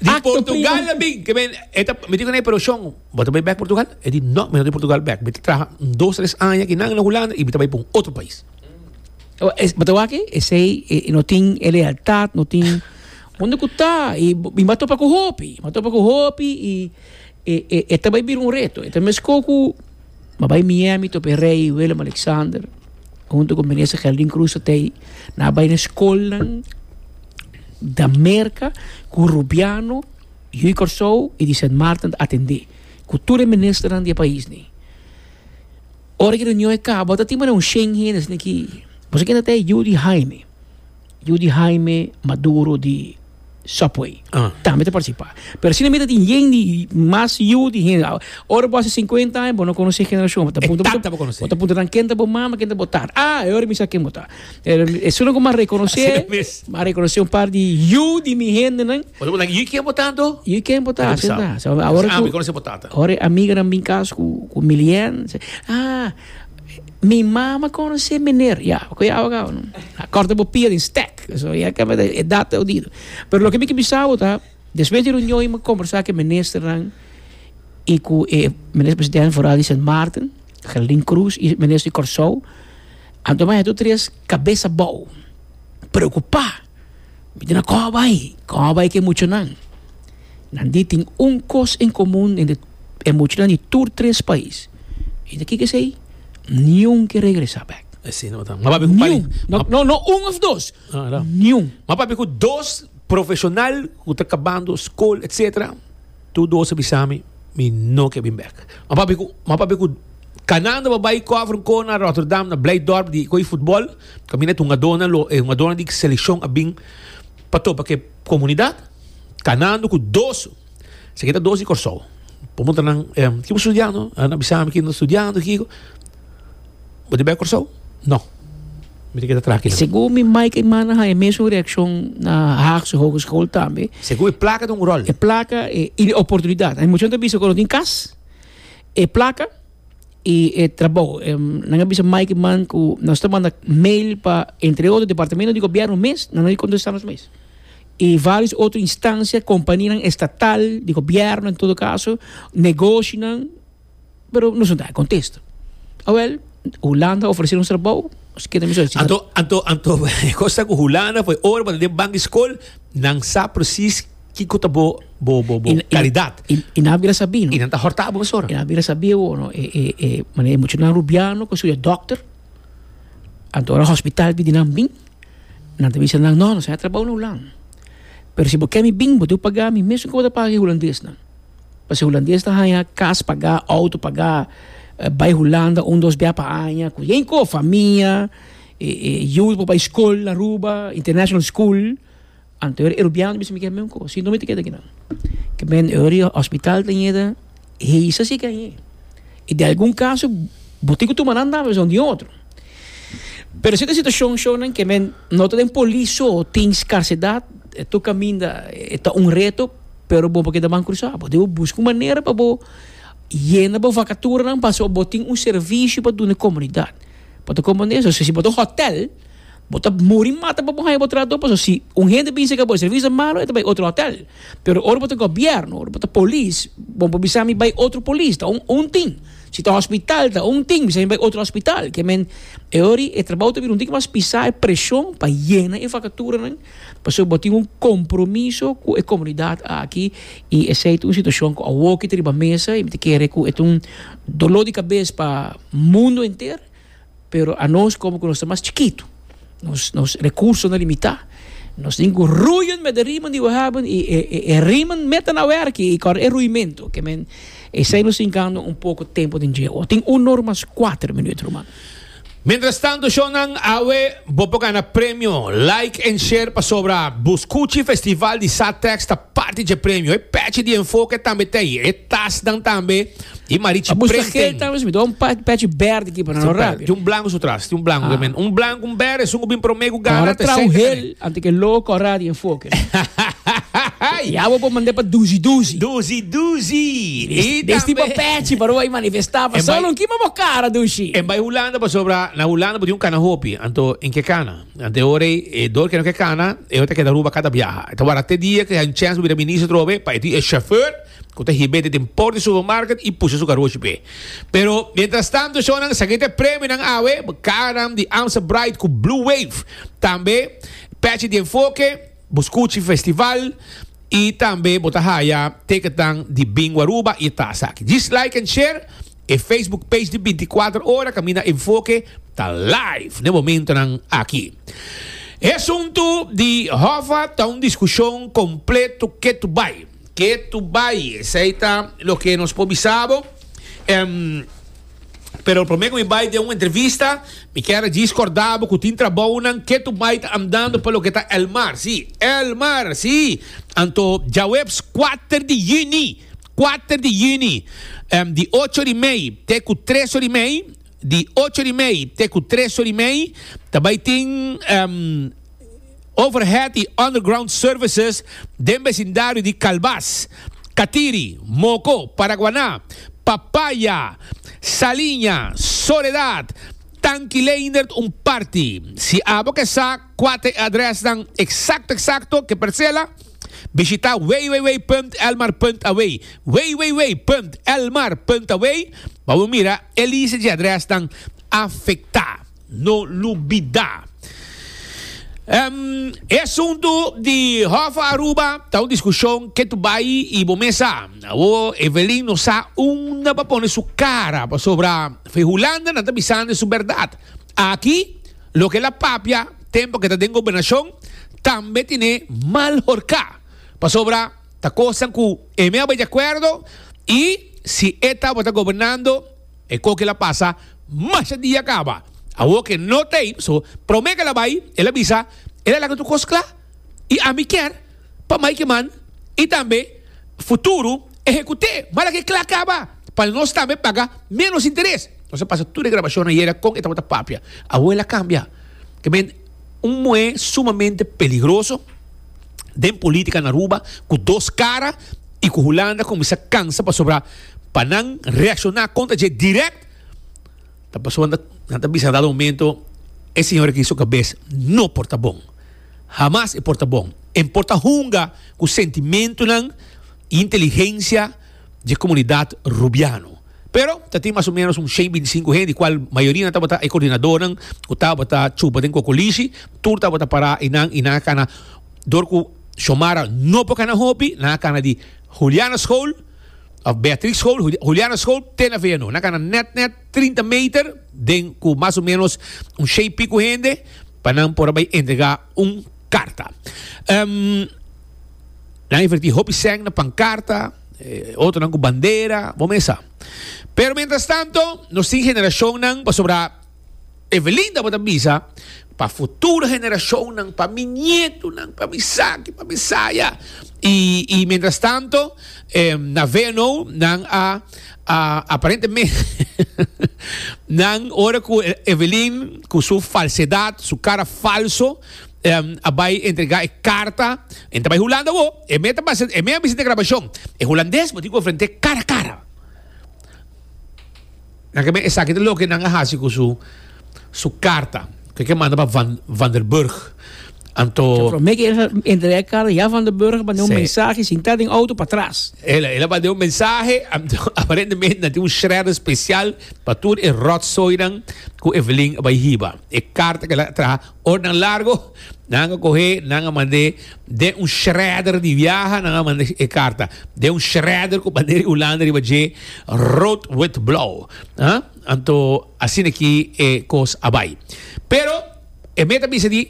Di Acto Portugal prima. a bin, ke men, e ta, mi di ku ne, pero Shon, bo ta bai bek Portugal? E di, no, mi no ta bai Portugal bek. Mi ta traha un dos, tres aña kinan na Hulanda i mi ta bai pa un otro pais. Bo ta wak e? Esei, e no tin e lealtad, no tin. Unda ku ta? I mi a topa ku hopi, mi a topa ku hopi i e ta bai bira un reto. E ta meskó ku mi a bai Miami topa e rei Willem Alexander huntu ku Minister Geraldine Cruz ta tei. Nan a bai na e skolnan di Amerika ku Rubiano, yu di Kòrsou i di Sint Maarten ta atendé ku tur e ministernan di e paisnan. Ora ki e reunion a kaba ta tin por un shen hende esei na ki. Bo sa kier ta tei? Yu di Haine. Yu di Jaime Maduro di Subway. Ah. Tambe ta participa. Pero si mira tin yen di mas yu di hen. Ora bo hace 50 años, bo no conoce generación. Ta punto Exacto, bo conoce. Ta punto tan ken ta bo mama, ken ta bo tar. Ah, e ora mi sa ken bo ta. Es uno con ma reconoce, Así mes. ma reconoce un par di yu di mi hende nan. Bo ta punto, yu ken bo ta do? Yu ken bo ta, Así así misao. ta. So, ahora Ah, cu- mi conoce bo tata. Ora amiga nan bin cas cu, cu Milian. Ah, Mi mama conoce meneer, ya, cu e abogado no, a corta bo pia den stek, so ya caba den edad ta odido, pero loke mi ke bisa bo ta, despues di reunion y mi conversa cu e ministernan y cu e minister presidente foral di Sint Maarten, Geraldine Cruz y minister di Corsou, anto mas e tur tres cabeza bao, preocupa. Mi tin a kòj bai, kòj bai ku e muchanan. Nan di tin un kos en komun hende, e muchanan di tur tres pais. I ta kiko esei? Niun ke regresá bèk. Así no ta. M'a papia ku pare. Niun. No, no un òf dos. Ah, ta. Niun. M'a papia ku dos profeshonal ku ta kabando skol, etsetera. Tu dos a bisa mi, mi no ke bin bek. Ma papia ku, ma papia ku Kanaan ta por bai kòfer un kor na Rotterdam, na Blijdorp di ko'i futbòl, kaminda e hungadónan lo, e hungadónan di selekshon a bin pa topa ku e komunidat. Kanaan duku dos, esaki e ta dos di Kòrsou. Pregunta nan, Ke bo studiando? Nan a bisa mi, Ki nan ta studiando? Kiko? Bo ta bia Kòrsou? No. Mi tin ke ta traha aki. Segun mi mai kei mana ha e mesun reakshon na Haagse Hogeschool tambe. Segun e plaka ta un ròl. E plaka e i di oportunidat. Hay mucha nan ta bisa ku nan tin kas, e plaka i e trabou. Nan a bisa mai ki man ku nos ta manda mail pa entre otro departamento di gobièrnu mes, nan no a kontestá nos mes. I varios otro instansia, kompanianan estatal, di gobièrnu en todo kaso, negoshinan. pero nos no ta e contesta. Awel, Hulanda ofrece nos trabao, nos keda mi solicita. Anto, anto, anto, e cos ta cu Hulanda foi ora pa den bank school, nan sa precies kico ta bo, bo, bo, bo, calidad. Y, y, y nan bira sabi, no? Y nan ta horta bo mesora. Y nan bira sabi awor, no? E, e, e, mane mucho nan rubiano, con studia dokter, anto ora hospital pidi nan bin, nan ta bisa nan, no, nos a trabao na Hulanda. Pero si bo ke mi bin, bo debe paga mi mesmo cu bo ta paga e Hulandes nan. Pasobra hulandes ta haña kas pagá, outo pagá, bai hulanda un dos bia pa aña ku yen kos, famia, yu por bai skol na Aruba, international school, anto e Rubiano bisa mi ke meun kos, sino mi ta keda kinan. Ke men ori hospital ta ñeda hesa si ke añe. I den algun kaso bo tin ku tuma nan tambe pasobra un di otro. Pero esei ta situashon shonnan ke men no ta den polis so tin skarsedat, e tur kaminda e ta un reto. pero bo por keda ban crusá bo debe busca un manera pa bo yena bo vacaturanan pasobra bo tin un servicio pa duna comunidad bo ta comprende eso si bo ta un hotel bo ta muri mata pa bo haya bo trabador pasobra si un hende bisa cu bo servicio ta malo e ta bay otro hotel pero ora bo ta gobierno ora bo ta polis bo por bisa mi bay otro polis ta un un tin si ta hospital ta un tin bisa mi bay otro hospital ke men e ora y e trabao ta bira un dikimas pisa y presion pa yena e vacaturanan Pasobra bo tin un compromiso cu e comunidad aki y esey ta un situacion cu a wokiet riba mesa y mi ta kere cu e ta un dolor di cabes pa mundo enter, pero anos como cu nos ta mas chikito, nos nos recurso na limita, nos tin cu rui un meda riman di we haben y e e e riman meda na werki y kor e ruimento ke men esey nos tin gana un poco tempo den dje. Tin uno ora mas cuater minuut, ruman. Mientras tanto show nan awe bo por gana premio like en share pasobra bo scuchi festival di sa tex ta parti dje premio e pechi di enfoke tambe ta ayi e tas nan tambe y marichi printing pechi berde ki pa nan lo rapia tin un blanco su tras tin un blanco un blanco un berde esun cu bin prome cu gana ta sete. Ante cu e logo corra di enfoke. Y awe bo mande pa Duzi Duzi. Duzi Duzi. Y tambe. Desdi pa Patchy pa Roy manifesta pa Solon kima bo cara Duzi. En bay Hulanda pasobra na Hulanda bo tin un cana hopi anto en ke cana. Ante ora y e dor ke no ke cana e ta keda Aruba cata biaha. E ta wara te dia ke hay un chance bo bira minister atrobe pa e tin e chauffeur. ku ta hib'é te den por di supermarket i pusha su karoshi p'e. Pero, mientrastantu shonnan sa keda premionan awe, kanan di Amstel Bright ku Blue Wave. Tambe Patchy di Enfoke, bo skuchi festival i tambe bo ta haya ticketnan di Bingo Aruba i e tasa aki. Djis like en share e Facebook page di Binti Kuater Ora kaminda Enfoke ta live n'e momentonan aki. E asuntu di Hoffa ta un diskushon kompletu ketu bai. Ke tu bai, esei ta loke nos por bisa bo. Em, pero prome ku mi bai den un entrevista, mi kier a djis korda bo ku tin trabounan ke tu bai ta andando pa loke ta El Mar, sí, El Mar, sí! Anto djaweps kuater di yüni, kuater di yüni, em, di ocho ori mei te ku tres ori mei, di ocho ori mei te ku tres ori mei, ta bai tin, em, Overhead y Underground Services den besindario di Calbas, Catiri, Moco, Paraguaná, Papaya, Saliña, Soledad, Tankileindert un parti. Si abo ke sa kuater e adresnan eksakto eksakto ke Percela, bishita www.elmar.away, www.elmar.away pa bo mira e lista dje adresnan afektá. No lubida. E asuntu di Hòf Aruba ta un diskushon ke tu bai i bo mes sa. Awor Evelyn no sa unda pa pone su kara pasobra fe Hulanda nan ta bisande su bèrdat. Aki loke el a papia tempu ke ta den gobernashon tambe tine mal horká pasobra ta kosnan ku e me a bai di akuerdo i si e tabata gobernando E koke la pasa, masha dia kaba. Awor ke no t'ei, so prome ke la bai, el a bisa, el a laga tur kos kla. I ami kier pa mai ke man i tambe futuro ehekut'é mala ke kla kaba, pa nos tambe paga ménos interes. Nos a pasa tur e grabashonnan yera kon e tabata papia. Awor el a kambia. Ke men Un muhé sumamente peligroso den polítika na Aruba ku dos kara i ku Hulanda kuminsá kansa pasobra pa nan reakshoná kontra dje dirèkt ta pasobra nan ta nan ta bisa dado momento e señor aki su kabes no por ta bon. Hamas e por ta bon. E por ta hunga ku sentimentunan i inteligensia dje komunidat Rubiano. Pero ta tin mas o ménos un shen binti sinku hende, kual mayorina tabata e kordinadónan ku tabata chupa den kokolishi. Tur tabata pará i nan i nan a kana dor ku Shomara no por kana hopi, nan a kana di Huliana School òf Beatrix School, Huliana School te na Veianon. Nan a kana nèt nèt trinta meter den ku mas o ménos un shen i piku hende pa nan por a bai entregá un karta. Nan a invertí hopi sèn na pankarta. Otronan cu bandera, bo mes sa. Pero mientras tanto, nos tin generacionnan, pasobra Evelyn tabata bisa, pa futuro generacionnan, pa mi nietonan, pa misaki, pa misaya. Y, y mientras tanto, na VNO nan a, a, aparentemente, nan ora cu Evelyn cu su falsedad, su cara falso, Em a bai entrega e carta. Em ta bai Hulanda awo. E mea ta basa, e mea a bisa den grabacion. E Hulandes bo tin cu enfrente cara a cara. Nan ke meh esaki ta loke nan a haci cu su, su carta. Cu e ke manda pa Van, Van der Burg. Anto. Cu prome ke el a entrega e carta ya Van der Burg a manda un mensahe sin ta den auto pa atras. El, el a manda un mensahe. Anto aparentemente nan tin un shredder special pa tur e rotzoinan cu Evelyn a bai hiba. E carta cu el a traha. Ora nan largo, nan a coge, nan a mand'e den un shredder di viaha, nan a mand'e e carta den un shredder cu bandera di Hulanda riba dje, rood, wit, blauw, ah. Anto asina ki e cos a bay. Pero e meta bisa di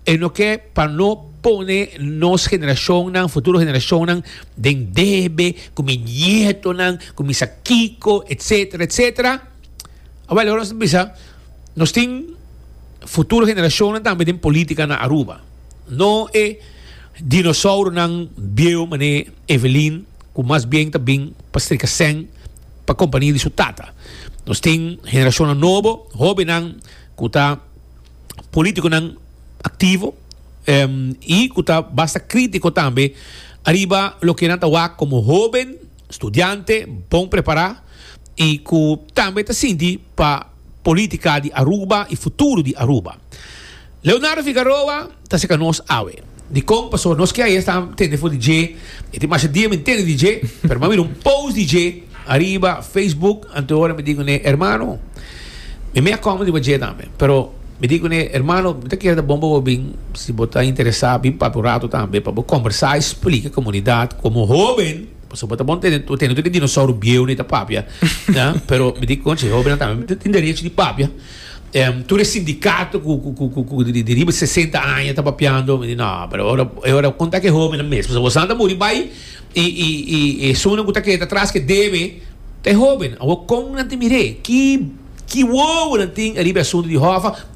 e no ke pa no pone nos generacionnan, futuro generacionnan den debe cu mi nietonan, cu mi sa kico, etcetera, etcetera. Awel ora nos ta bisa. Nos tin futuro generashonnan tambe den politika na Aruba. No e dinosouronan bieu manera Evelyn ku mas bien ta bin pa strika sèn pa kompania di su tata. Nos tin generashonnan nobo, hóbennan ku ta polítikonan aktivo i ku ta basta krítiko tambe ariba loke nan ta wak komo hóben, studiante bon prepará i ku tambe ta sinti pa. Politica di Aruba y futuro di Aruba. Leonardo Figaroa ta cerca nos awe. Dicon? Pasobra nos kia esta tende for di dje, e tin masha dia mi tende di dje, pero mi a mira un post di dje ariba Facebook, antehoras mi di cune, Hermano, mi mey a come riba dje tambe, pero mi di cune, Hermano, mi ta kier ta bon pa bo bin, si bo ta interesa, bin papia un rato tambe pa bo conversa y splica comunidad como hoben, Pasobra bo ta bon tene bo tene tur e dinosauro bieu ne ta papia ah pero mi di conchi e hobennan tambe tin derecho di papia em tur e sindicato cu cu cu cu cu di di riba sesenta aña ta papiando mi di no pero e ora e ora bo conta cu e hobennan mes pasobra boso nan ta muri bai y y y y esunnan cu ta keda atras cu e debe ta e hoben awo con nan tin mir'e ki ki wowonan tin ariba e asunto di hòfa.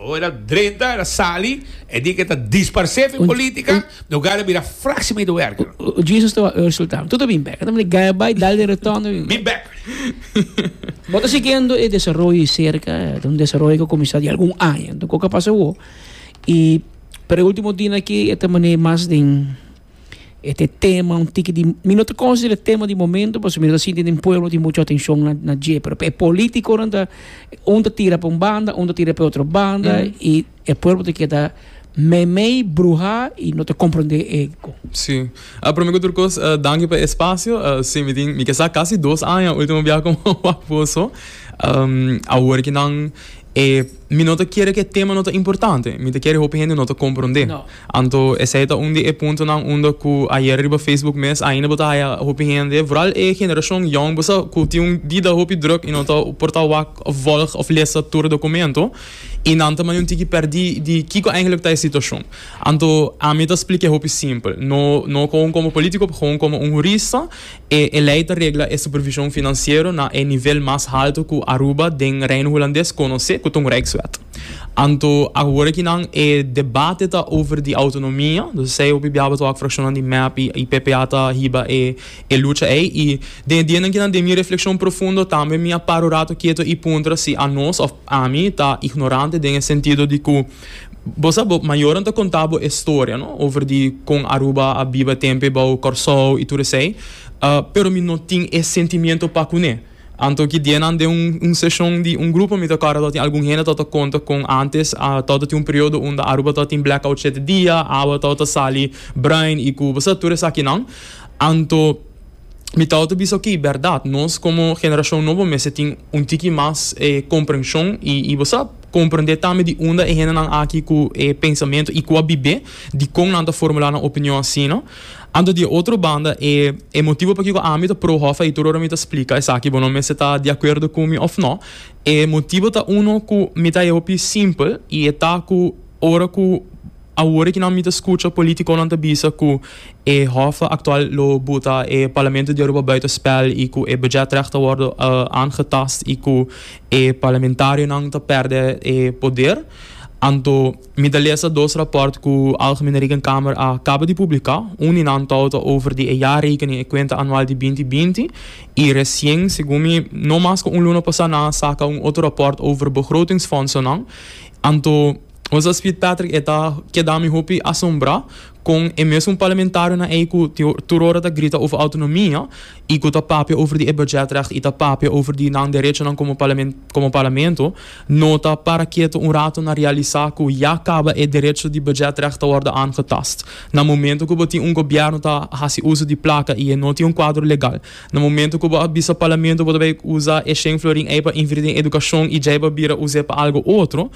Ora drenta el a sali, e di ke ta disparsé fen polítika, no gana a bira fraksi medewerker. Un juicio sta wak resultado. Tutu bin bek. Atambe gaya bai, dal den retorno i bin bek. Bin bek. Bo ta siguiendo e desaroyo di cerca. Ta un desaroyo ku a kuminsá di algun aña. Enton, kiko a pasa awo? I per e último dianan aki e ta manei mas den. E ta e tema un tiki di, mi no ta considera e tema di momento pasobra mi no ta sinti den pueblo tin mucho atencion na na dje, pero pa e politiconan ta un ta tira pa un banda un ta tira pa e otro banda y e pueblo ta keda meimei, bruha y no ta comprende e cu. Sí. A prome cu tur cos danki pa e espacio. Sí, mi tin, mi ke sa casi dos aña ultimo biaha cu mi a wak bo so. Awor ki nan e, mi no ta kere cu e tema no ta importante, mi ta kere hopi hende no ta comprende. Anto esei ta un di e puntonan unda ku ayer riba Facebook mes ainda bo ta haya hopi hende, vooral e generashon yòn, bo sa ku tin un bida hopi drùk i no ta por ta wak òf vòlg òf lesa tur dokumento i nan ta mane un tiki pèrdí di kiko eindelijk ta e situashon. Anto ami ta splik'é hopi simpel, no no komo un polítiko, pero komo un hurista. E e lei ta regla e supervision financiero na e nivel mas halto cu Aruba den Reino Hulandes conoce, cu ta un Rijkswet. Anto, awor ki nan e debate ta over di autonomia, dus esey hopi biaba ta wak fraccionnan di mep y y PPA ta hiba e e lucha ey y den e dianan ki nan den mi reflexion profundo tambe mi a para un rato keto y puntra si a nos of ami ta ignorante den e sentido di cu Bo sa bo mayornan ta konta bo e storia no over di kon Aruba a biba tempe bou Kòrsou i tur esei pero mi no tin e sentimiento pa kuné anto ki dianan den un seshon di un grupo mi ta kòrda tabata tin algun hende tabata konta kon antes a tabata tin un periodo unda Aruba tabata tin blackout shete dia awa tabata sali brain i ku bo sa tur esakinan anto. Mi tata ta bisa oke i berdad, nos komo generashon nobo mester tin un tiki mas e komprenshon i bo sa komprendé tambe di unda e hendenan aki ku e pensamentu i ku a bibé, dikon nan ta formulá nan opinion asina. Anto di e otro banda e e motibu pakiko ami ta pro Hòf ei tur ora mi ta splika esaki bo no mester ta di akuerdo ku mi òf nò, e motibu ta uno ku mi ta e hopi simpel i e ta ku ora ku. Awor aki nan mi ta skucha politiconan ta bisa cu e hof actual lo buta e Parlamento di Aruba buiten spel y cu e budgetrecht ta wordo aangetast y cu e Parlamentarionan ta perde e poder. Anto mi ta lesa dos rapport cu Algemene Rekenkamer a caba di publica. Un di nan too ta over di e jaarrekening, e cuenta anual di binti binti, y recien, segun mi, no mas cu un luna pasa nan a saca un otro rapport over begrotingsfondsonan. Anto. Ons a spit Patrick e ta keda mi hopi asombrá kon e mesun parlamentarionan ei ku tur ora ta grita over autonomia i ku ta papia over di e budgetrecht i ta papia over di nan derechonan komo komo parlamento no ta para keto un rato na realisá ku ya kaba e derecho di budgetrecht ta wòrdu aangetast. Na momento ku bo tin un gobièrnu ta hasi uso di plaka i e no tin un kuadro legal, na momento ku bo a bisa parlamento bo ta bai usa e shen florin ei pa invirti den edukashon i djei bo a bira us'e pa algu otro,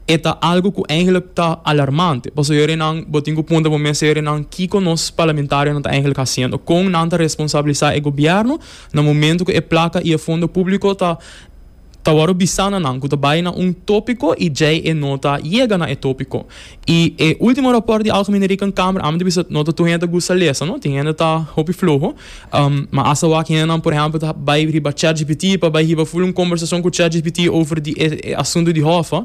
E ta algu ku eigelik ta alarmante. Pasobra yorinan bo tin ku punta bo mes, yorinan, kiko nos parlamentarionan ta eigelik hasiendo? Kon nan ta responsabilisá e gobièrnu na momentu ku e plaka i e fondo públiko ta ta wòrdu bisá na nan ku ta bai na un tópiko i djei e no ta yega na e tópiko? I e último rapòrt di Algemene Rekenkamer, a mi ta bisa no ta tur hende ta gusta lesa, no? Tin hende ta hopi floho. Ma asawak hendenan, por ehempel, ta bai riba ChatGPT pa bai hiba ful un kombersason ku ChatGPT over di e asuntu di Hoffa.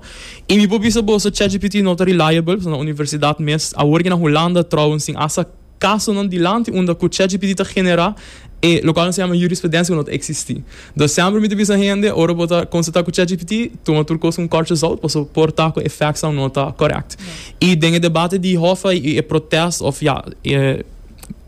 I mi por bisa boso ChatGPT no ta reliable, pasobra na universidat mes, awor ke na Hulanda trouwens tin hasta kasonan dilanti unda ku ChatGPT ta generá e lokal nan ta yama jurisprudensia ku no ta eksistí. Dus semper mi ta bisa hende, ora bo ta konsultá ku ChatGPT, tuma tur kos ku un kòrtje zout, pasobra por ta ku e factsnan no ta kòrèkt. I den e debate di Hoffa i e protest òf ya e.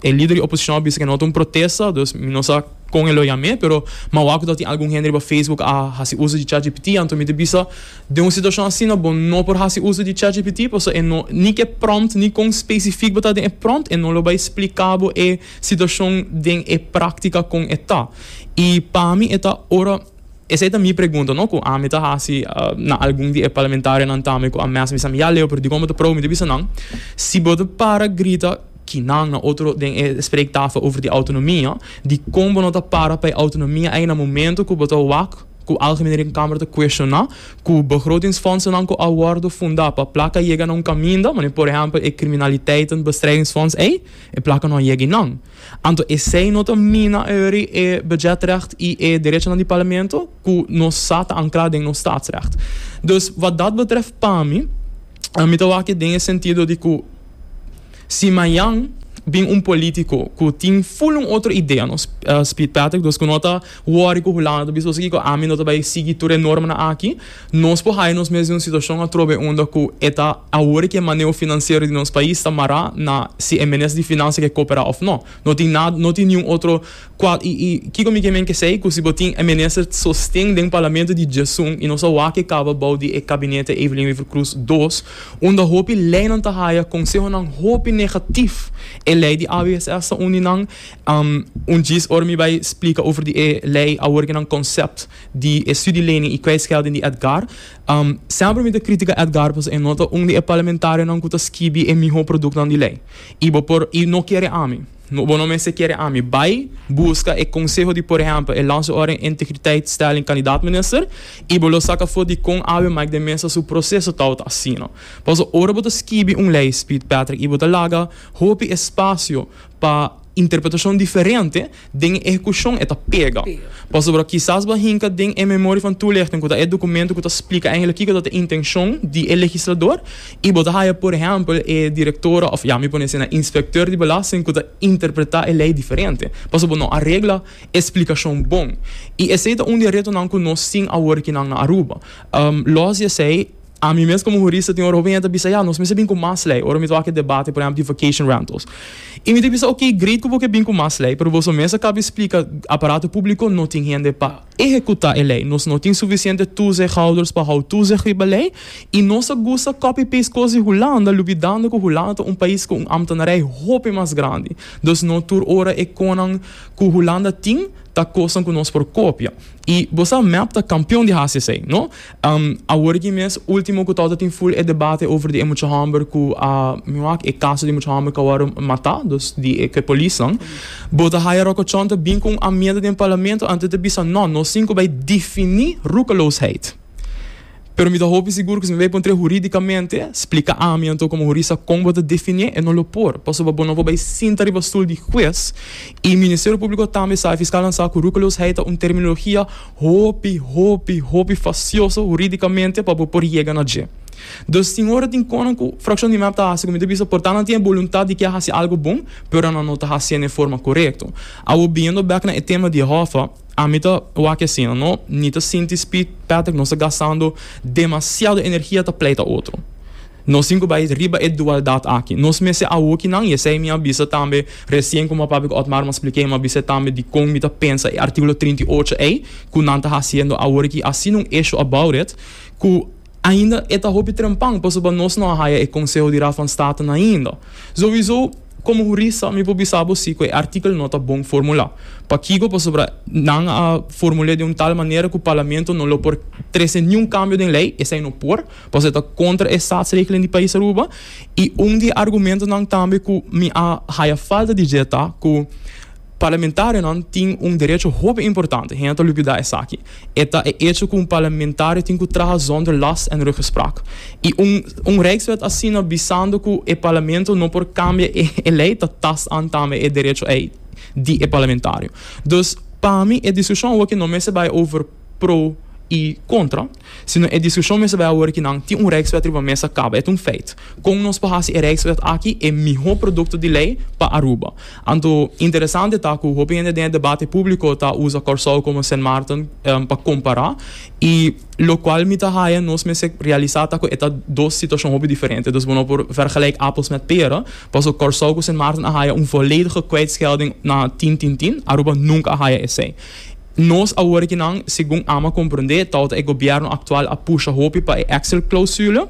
E lider di oposishon a bisa ku e no ta un protesta, dus mi no sa kon e lo yam'é, pero mawaw ku ta tin algun hende riba Facebook a hasi uso di chatgpt, anto mi ta bisa den un situashon asina bo no por hasi uso di chatgpt pasobra e no ni ke pròmpt ni kon spesifik bo ta den e pròmpt e no lo bai splika bo e situashon den e praktika kon e ta i pa mi e ta ora. Esei ta mi pregunta no ku ami ta hasi na algun di e parlamentarionan tambe ku a mes bisa mi ya leu pero dikon bo ta probo mi ta bisa nan si bo ta para grita ki nan na otro den e spreektafel over di autonomia dikon bo no ta para pa e autonomia ei na momento ku bo ta wak ku Algemene Rekenkamer ta kueshoná ku begrotingsfondsenan ku a wòrdu fundá pa plaka yega na un kaminda manera por ehèmpel e kriminaliteitenbestrijdingsfonds ei e plaka no a yega i nan. Anto esei no ta mina earri e budgetrecht i e derechonan di Parlamento ku nos sa ta ankrá den nos Statsrecht. Dus wât dat betrèf pa mi, mi ta wak e den e sentido di ku si mañan bin un polítiko ku tin ful un otro idea, nos spiet Patrick, dus ku no ta Wòri ku Hulanda ta bisa, Osi kiko, ami no ta bai sigui tur e normanan aki. Nos por haya nos mes den un situashon atrobe unda ku e ta awor ku e maneo finansiero di nos pais ta mará na si e Minister di Finansia ke koperá òf nò. No tin nada, no tin niun otro kual i i kiko mi ke men kesei ku si bo tin e Minister sosten den Parlamento di Djèsun i nos a wak e kaba bou di e Kabinete Evelyn Wever-Croes dos unda hopi leinan ta haya konsehonan hopi negatif. E lei di AWSS ta uni nan Un djis ora mi bai splika over di e lei awor ke nan konsept di e studielening i kwijtgelding di Edgar, semper mi ta kritika Edgar pasobra e no ta un di e parlamentarionan ku ta skibi e mihó produknan di lei. I bo por i no kere ami, bo no mester kere ami bai buska e konseho di por ehèmpel e Lanse Orde en Integriteitstelling kandidaat minister i bo lo sak afó di kon Abe Mike de Meza su proseso tou ta asina. Pasobra ora bo ta skibi un lei, Speed Patrick, i bo ta laga hopi espasio pa interpretashon diferente den e ehekushon e ta pega. Pasobra kisas bo a hinka den e memorie van toelichting ku ta e dokumento ku ta splika eigenlijk kiko ta ta e intenshon di e legislador i bo ta haya por ehèmpel e direktora òf ya mi pone asina inspektè di belasting ku ta interpretá e lei diferente pasobra bo no a regla e splikashon bon. I esei ta un di e retonan ku nos tin awor kinan na Aruba. Lòs di esei. Ami mes komo hurista tin ora hopi hende ta bisa, ya, nos mester bin ku mas lei ora mi ta wak e debate, por ehèmpel, di vacation rentals. I mi ta bisa, ok, great ku bo ke bin ku mas lei, pero boso mes a kaba splika, aparato públiko no tin hende pa ehekutá e lei. Nos no tin sufisiente toezichthouders pa hou toezicht riba lei i nos a gusta copy-paste kos di Hulanda, lubidando ku Hulanda ta un pais ku un ámtenarij hopi mas grandi. Dus no tur ora e konan ku Hulanda tin ta kosnan ku nos por kopia. I bo sa, mep ta kampion di hasi esei, no? Awor aki mes ultimo ku torta tin full e debate over di e mucha homber ku a mi wak e kaso di mucha homber ku a wòrdu matá dus di e ke polisnan. Bo ta haya rokochon ta bin ku un amienda den parlamento anto ta bisa nò nos tin ku bai difiní rukeloosheid. Pero mi ta hopi sigur ku si mi bai puntr'é hurídikamente splika ami anto komo hurista kon bo ta definié e no lo por pasobra bo no por bai sinta riba stul di hues i Ministerio Públiko tambe sa e fiskalnan sa ku rukeloosheid ta un terminologia Hopi, hopi, hopi fasioso huridicamente pa bo por yega na dje. Dus tin ora tin conan cu Fraccion di Mep ta haci cu mi ta bisa por ta nan tin e boluntad di kia haci algo bon, pero nan no ta haciendo e forma corecto. Awo biyendo bek na e tema di e hofa, ami ta wak asina, no ni ta sinti speed, Patrick nos ta gastando demasiado energia ta pleita otro. Nos tin cu bay riba e dualdad aki. Nos mester a hoki nan, y esey mi a bisa tambe recien como a papia cu Otmar, mi a splica e, mi a bisa e tambe dicon mi ta pensa e articulo trinta y ocho ey, cu nan ta haciendo awor aki, a sin un issue about it, cu ainda e ta hopi trempan, pasobra nos no a haya e conseho di Raad van State nan ainda. Sowiso, como hurista, mi por bisa bo si cu e artikel no ta bon formula. Pakico? Pasobra nan a formul'e den un tal manera cu Parlamento no lo por trece niun cambio den ley, esey no por, Pasobra e ta kontra e statsregelen di Pais Aruba i un di e argumentonan tambe ku mi a haya falta di dje ta ku parlamentarionan tin un derecho hopi importante. Hende ta lubida esaki. E ta e echo ku un parlamentario tin ku traha zonder last en ruggespraak. I un un Rijkswet asina bisando ku e parlamento no por kambia e e lei ta tasaan tambe e derecho ei di e parlamentario. Dus pa mi e diskushon awor ke no mester bai over. pro i kontra, sino e diskushon mester bai awor ki nan tin un reiswet riba mesa kaba. E ta un feit. Kon nos por hasi e reiswet aki e mihó produkto di lei pa Aruba? Anto, interesante ta ku hopi hende den e debate públiko ta usa Kòrsou komo Sint Maarten pa kompará. I lokual mi ta haña nos mester realisá ta ku e ta dos situashon hopi diferente. Dus bo no por vergelijk appels met pera, paso Kòrsou ku Sint Maarten a haña un volledige kwijtschelding na tin tin tin, Aruba nunka a haña esei. Nos a worki nan segun Ama comprende tawata e gobierno actual a pusha hopi pa e Excel clausule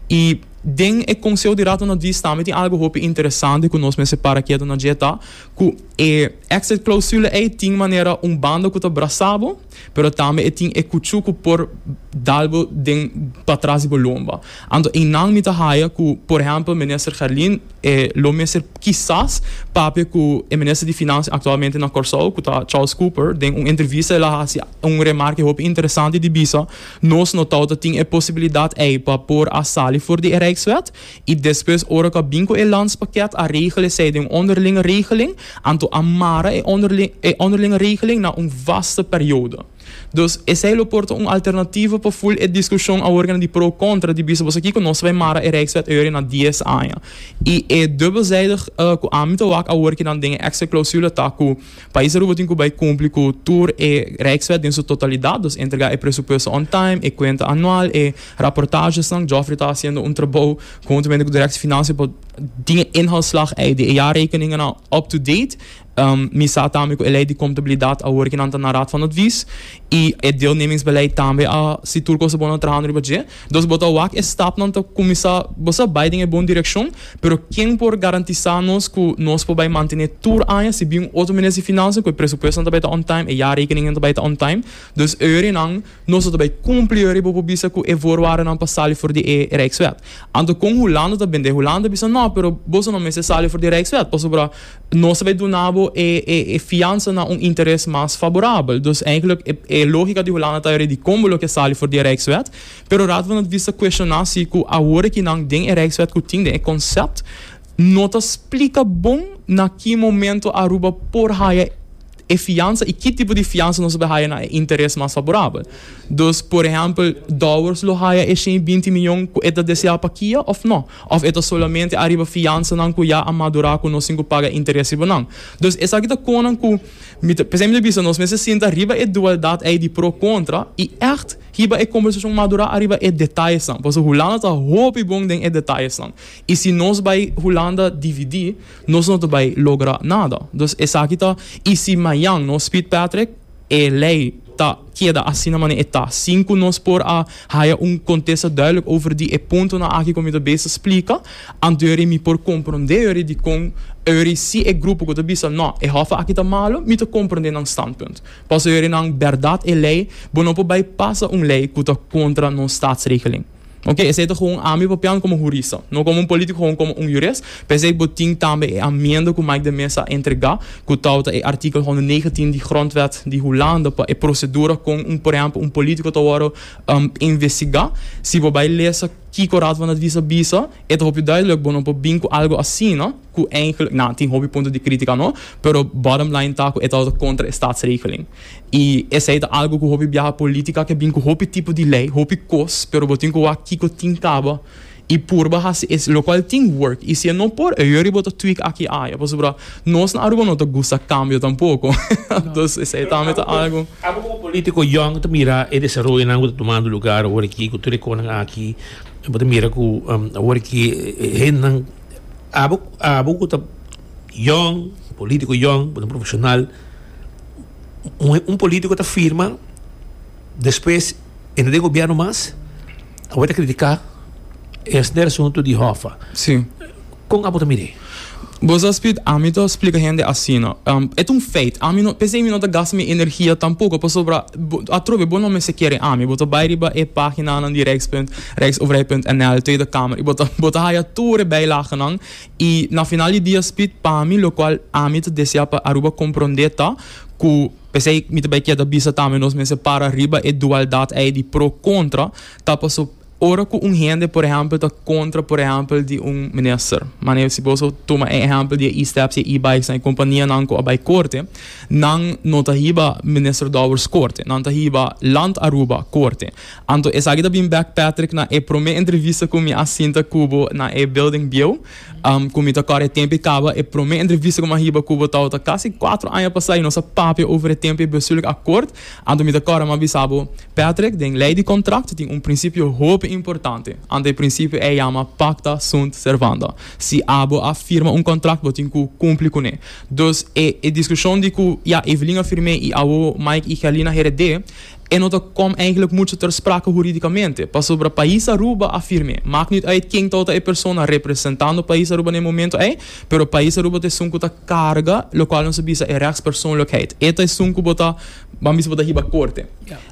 y den e Conseho di Rato na Dies tambe tin algo hopi interesante cu nos mester para keto na dje ta cu e Excel clausule ey tin manera un banda cu ta brasa bo pero tambe e tin e cuchu cu por dal bo den patras di bo lomba anto eynan mi ta haya cu por ehempel Minister Gerlin E lo mester kisas papia ku e minister di Finansia aktualmente na Kòrsou, ku ta Charles Cooper. Den un entrevista el a hasi un remark di hopi interesante di bisa, Nos no tawata tin e posibilidat ei pa por a sali for di e Rijkswet. I despues ora ku a bin ku e landspakket a regel esei den un onderlinge regeling, anto a mara e onderlinge regeling na un vaste periodo. Dus, esei lo por ta un alternativo pa ful e diskushon aworganan di pro kontra di bisa boso kiko nos ta bai mara e Rijkswet Euro na dies aña. I e dubbelzijdig ku ami ta wak awor kinan den e extra clausule ta ku Pais Aruba tin ku bai kumpli ku tur e Rijkswet den su totalidat, dus entrega e presupuesto on time, e kuenta anual, e raportagesnan. Geoffrey ta hasiendo un trabou huntumente ku Direktie Finansha pa tin e inhoudsslag ei di e jaarrekeningennan up to date. Mi sa tambe ku e lei di kontabilidat a wor ke nan ta na Raad van Advies i e deelnemingsbeleid tambe a si tur kos ta bon a trahando riba dje. Dus bo ta wak e stapnan ta kuminsá. Bo sa bai den e bon direkshon, pero ken por garantisá nos ku nos por bai mantené tur aña si bin un otro minister di Finansia ku e presupuestonan ta bai ta on time, e jarekeningen ta bai ta on time? Dus e horinan. Nos ta bai kumpli yori bo por bisa ku e voorwaardenan pa sali for di e Rijkswet. Anto kon Hulanda ta bende? Hulanda bisa no, pero boso no mester sali for di e Rijkswet pasobra nos ta bai duna bo e e fiansa na un interes mas faborabel. Dus eindelijk e e logika di Hulanda ta yori di kon bo lo ke sali for di e Rijkswet. Pero Raad van Advies ta kueshoná si ku awor ki nan den e Rijkswet ku tin den e konsept no ta splika bon na ki momento Aruba por haya e. e fiansa i ki tipo di fiansa nos lo haya na e interes mas faborabel. Dus, por ehèmpel, Dowers lo haya e shen binti miyon ku e ta desea pa Kia òf nò? Òf e ta solamente ariba fiansanan ku ya a madurá ku nos tin ku paga interes riba nan? Dus, esaki ta konan ku mi ta p'esei mi ta bisa nos mester sinta riba e dualdat ei di pro kontra i ègt hiba e kombersashon madurá ariba e detayesnan. Pasobra Hulanda ta hopi bon den e detayesnan. I si nos bai Hulanda dividí Nos no ta bai logra nada. Dus esaki ta, y si mayan nos pit Patrick, e ley ta keda asina mane e ta, sin cu nos por a haya un contesta duidelijk over di e puntonan aki cu mi ta bes ta splica, anto yorie mi por comprende yorie dicon yorie si e grupo cu ta bisa no, e hof aki ta malo, mi ta comprende nan standpunt. Pasobra yorie nan berdad e ley, bo no por bai pasa un ley cu ta contra nos statsregeling. Oke, esei ta gewoon ami papian komo hurista, no komo un polítiko, gewoon komo un hurist. P'esei bo tin tambe e amienda ku Mike de Meza a entregá, ku tou ta e artikel honderdnegentien di grondwet di Hulanda pa e prosedura kon un, por ehèmpel, un polítiko ta wòrdu investigá. Si bo bai lesa kiko Raad van Advies a bisa, e ta hopi duidelijk, bo no por bin ku algu asina. Cu eigenlijk nan tin hopi punto di critica no, pero bottom line ta cu e ta word contra e staatsregeling. Y esey ta algo cu hopi biaha politica ke bin cu hopi tipo di ley, hopi cos, pero bo tin cu wak kico tin caba y purba haci es, locual tin work. Y si e no por, e yori bo ta tweak aki aya, pasobra nos na Aruba no ta gusta cambio tampoco. Dus esey tambe ta algo. Abo como politico yòn cu ta mira e desaroyonan cu ta tumando lugar aworaki cu tur e conan aki, bo ta mira cu aworaki e hendenan. Abo abo ku ta yòn, polítiko yòn, ku ta profeshonal, un polítiko ta firma, despues e no den gobièrnu mas, awor e ta kritiká esner asuntu di Hoffa. Sí. Kon abo ta mir'é? Bo sa, Speed, ami ta splika hende asina. E ta un feit. Ami no, p'esei mi no ta gasta mi energia tampoko, pasobra bo, atrobe bo no mester kere ami. Bo ta bai riba e páginanan di Rijkspunt. Rijksoverheid.nl, Tweede Kamer, bo ta haya tur e bijlagenan i na final di dia spit pami lokual ami ta desea pa Aruba komprondé ta ku p'esei mi ta bai keda bisa tambe nos mester para riba e dualdat ei di pro kontra ta paso ora ku un hende por ehèmpel ta kontra por ehèmpel di un minister manera si boso tuma e ehèmpel di e e-steps i e e-bikes nan e kompanianan ku a bai korte nan no ta hiba minister Dowers korte nan ta hiba Land Aruba korte. Anto esaki ta bin bek Patrick na e prome entrevista ku mi a sinta ku bo na e building bieu. Ku mi ta kòrè e tempe kaba, e prome entrevista ku mi a hiba ku bo tabata kasi kuater aña pasá i nos a papia over e tempe bestuurlijk akkoord. Anto mi ta kòrè mi a bisa bo, Patrick, den lei di kontrakt tin un prinsipio hopi importante, anto e prinsipio ei yama pacta sunt servanda. Si abo a firma un kontrakt bo tin ku kumpli kuné. Dus e diskushon di ku ya Evelyn a firm'é i awo Mike i Herlin a hered'é, E no ta com eigenlijk mucho ter sprake huridicamente, pasobra Pais Aruba a firme, maak niet uit ken touta e persona representando Pais Aruba na e momento ei, pero Pais Aruba ta esun cu ta carga locual nos a bisa e rechtspersoonlijkheid. E ta esun cu bo ta, ban bisa bo ta hiba corte.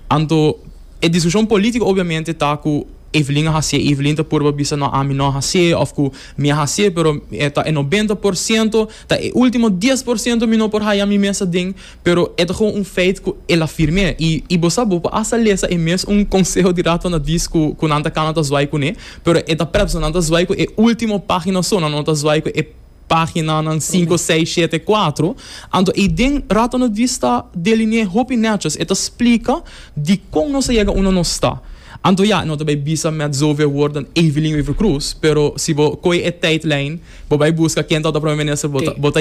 Anto e discusion politico obviamente ta cu Evelyn a hacié, Evelyn ta purba bisa no ami no a hacié of cu mi a hacié, pero e ta e noventa por ciento, ta e ultimo dies por ciento mi no por haya mi mes aden, Pero e ta gewoon un feit ku el a firm'é. I i bo sa, bo por asta lesa e mes un konseho di Raad van Advies ku ku nan ta kana ta zwaai kuné, pero e ta prèp so nan ta zwaai ku e último página so, nan no ta zwaai ku e páginanan sinku, seis, shete, kuatro. Anto ei den Raad van Advies ta deline'é hopi nèchos, e ta splika dikon nos a yega unda nos ta. Anto ya, no ta bai bisa mèt zoveel woord dan Evelyn Wever-Croes, pero si bo kohe e tydlijn, bo bai buska ken tabata Prome Minister, bo ta bo ta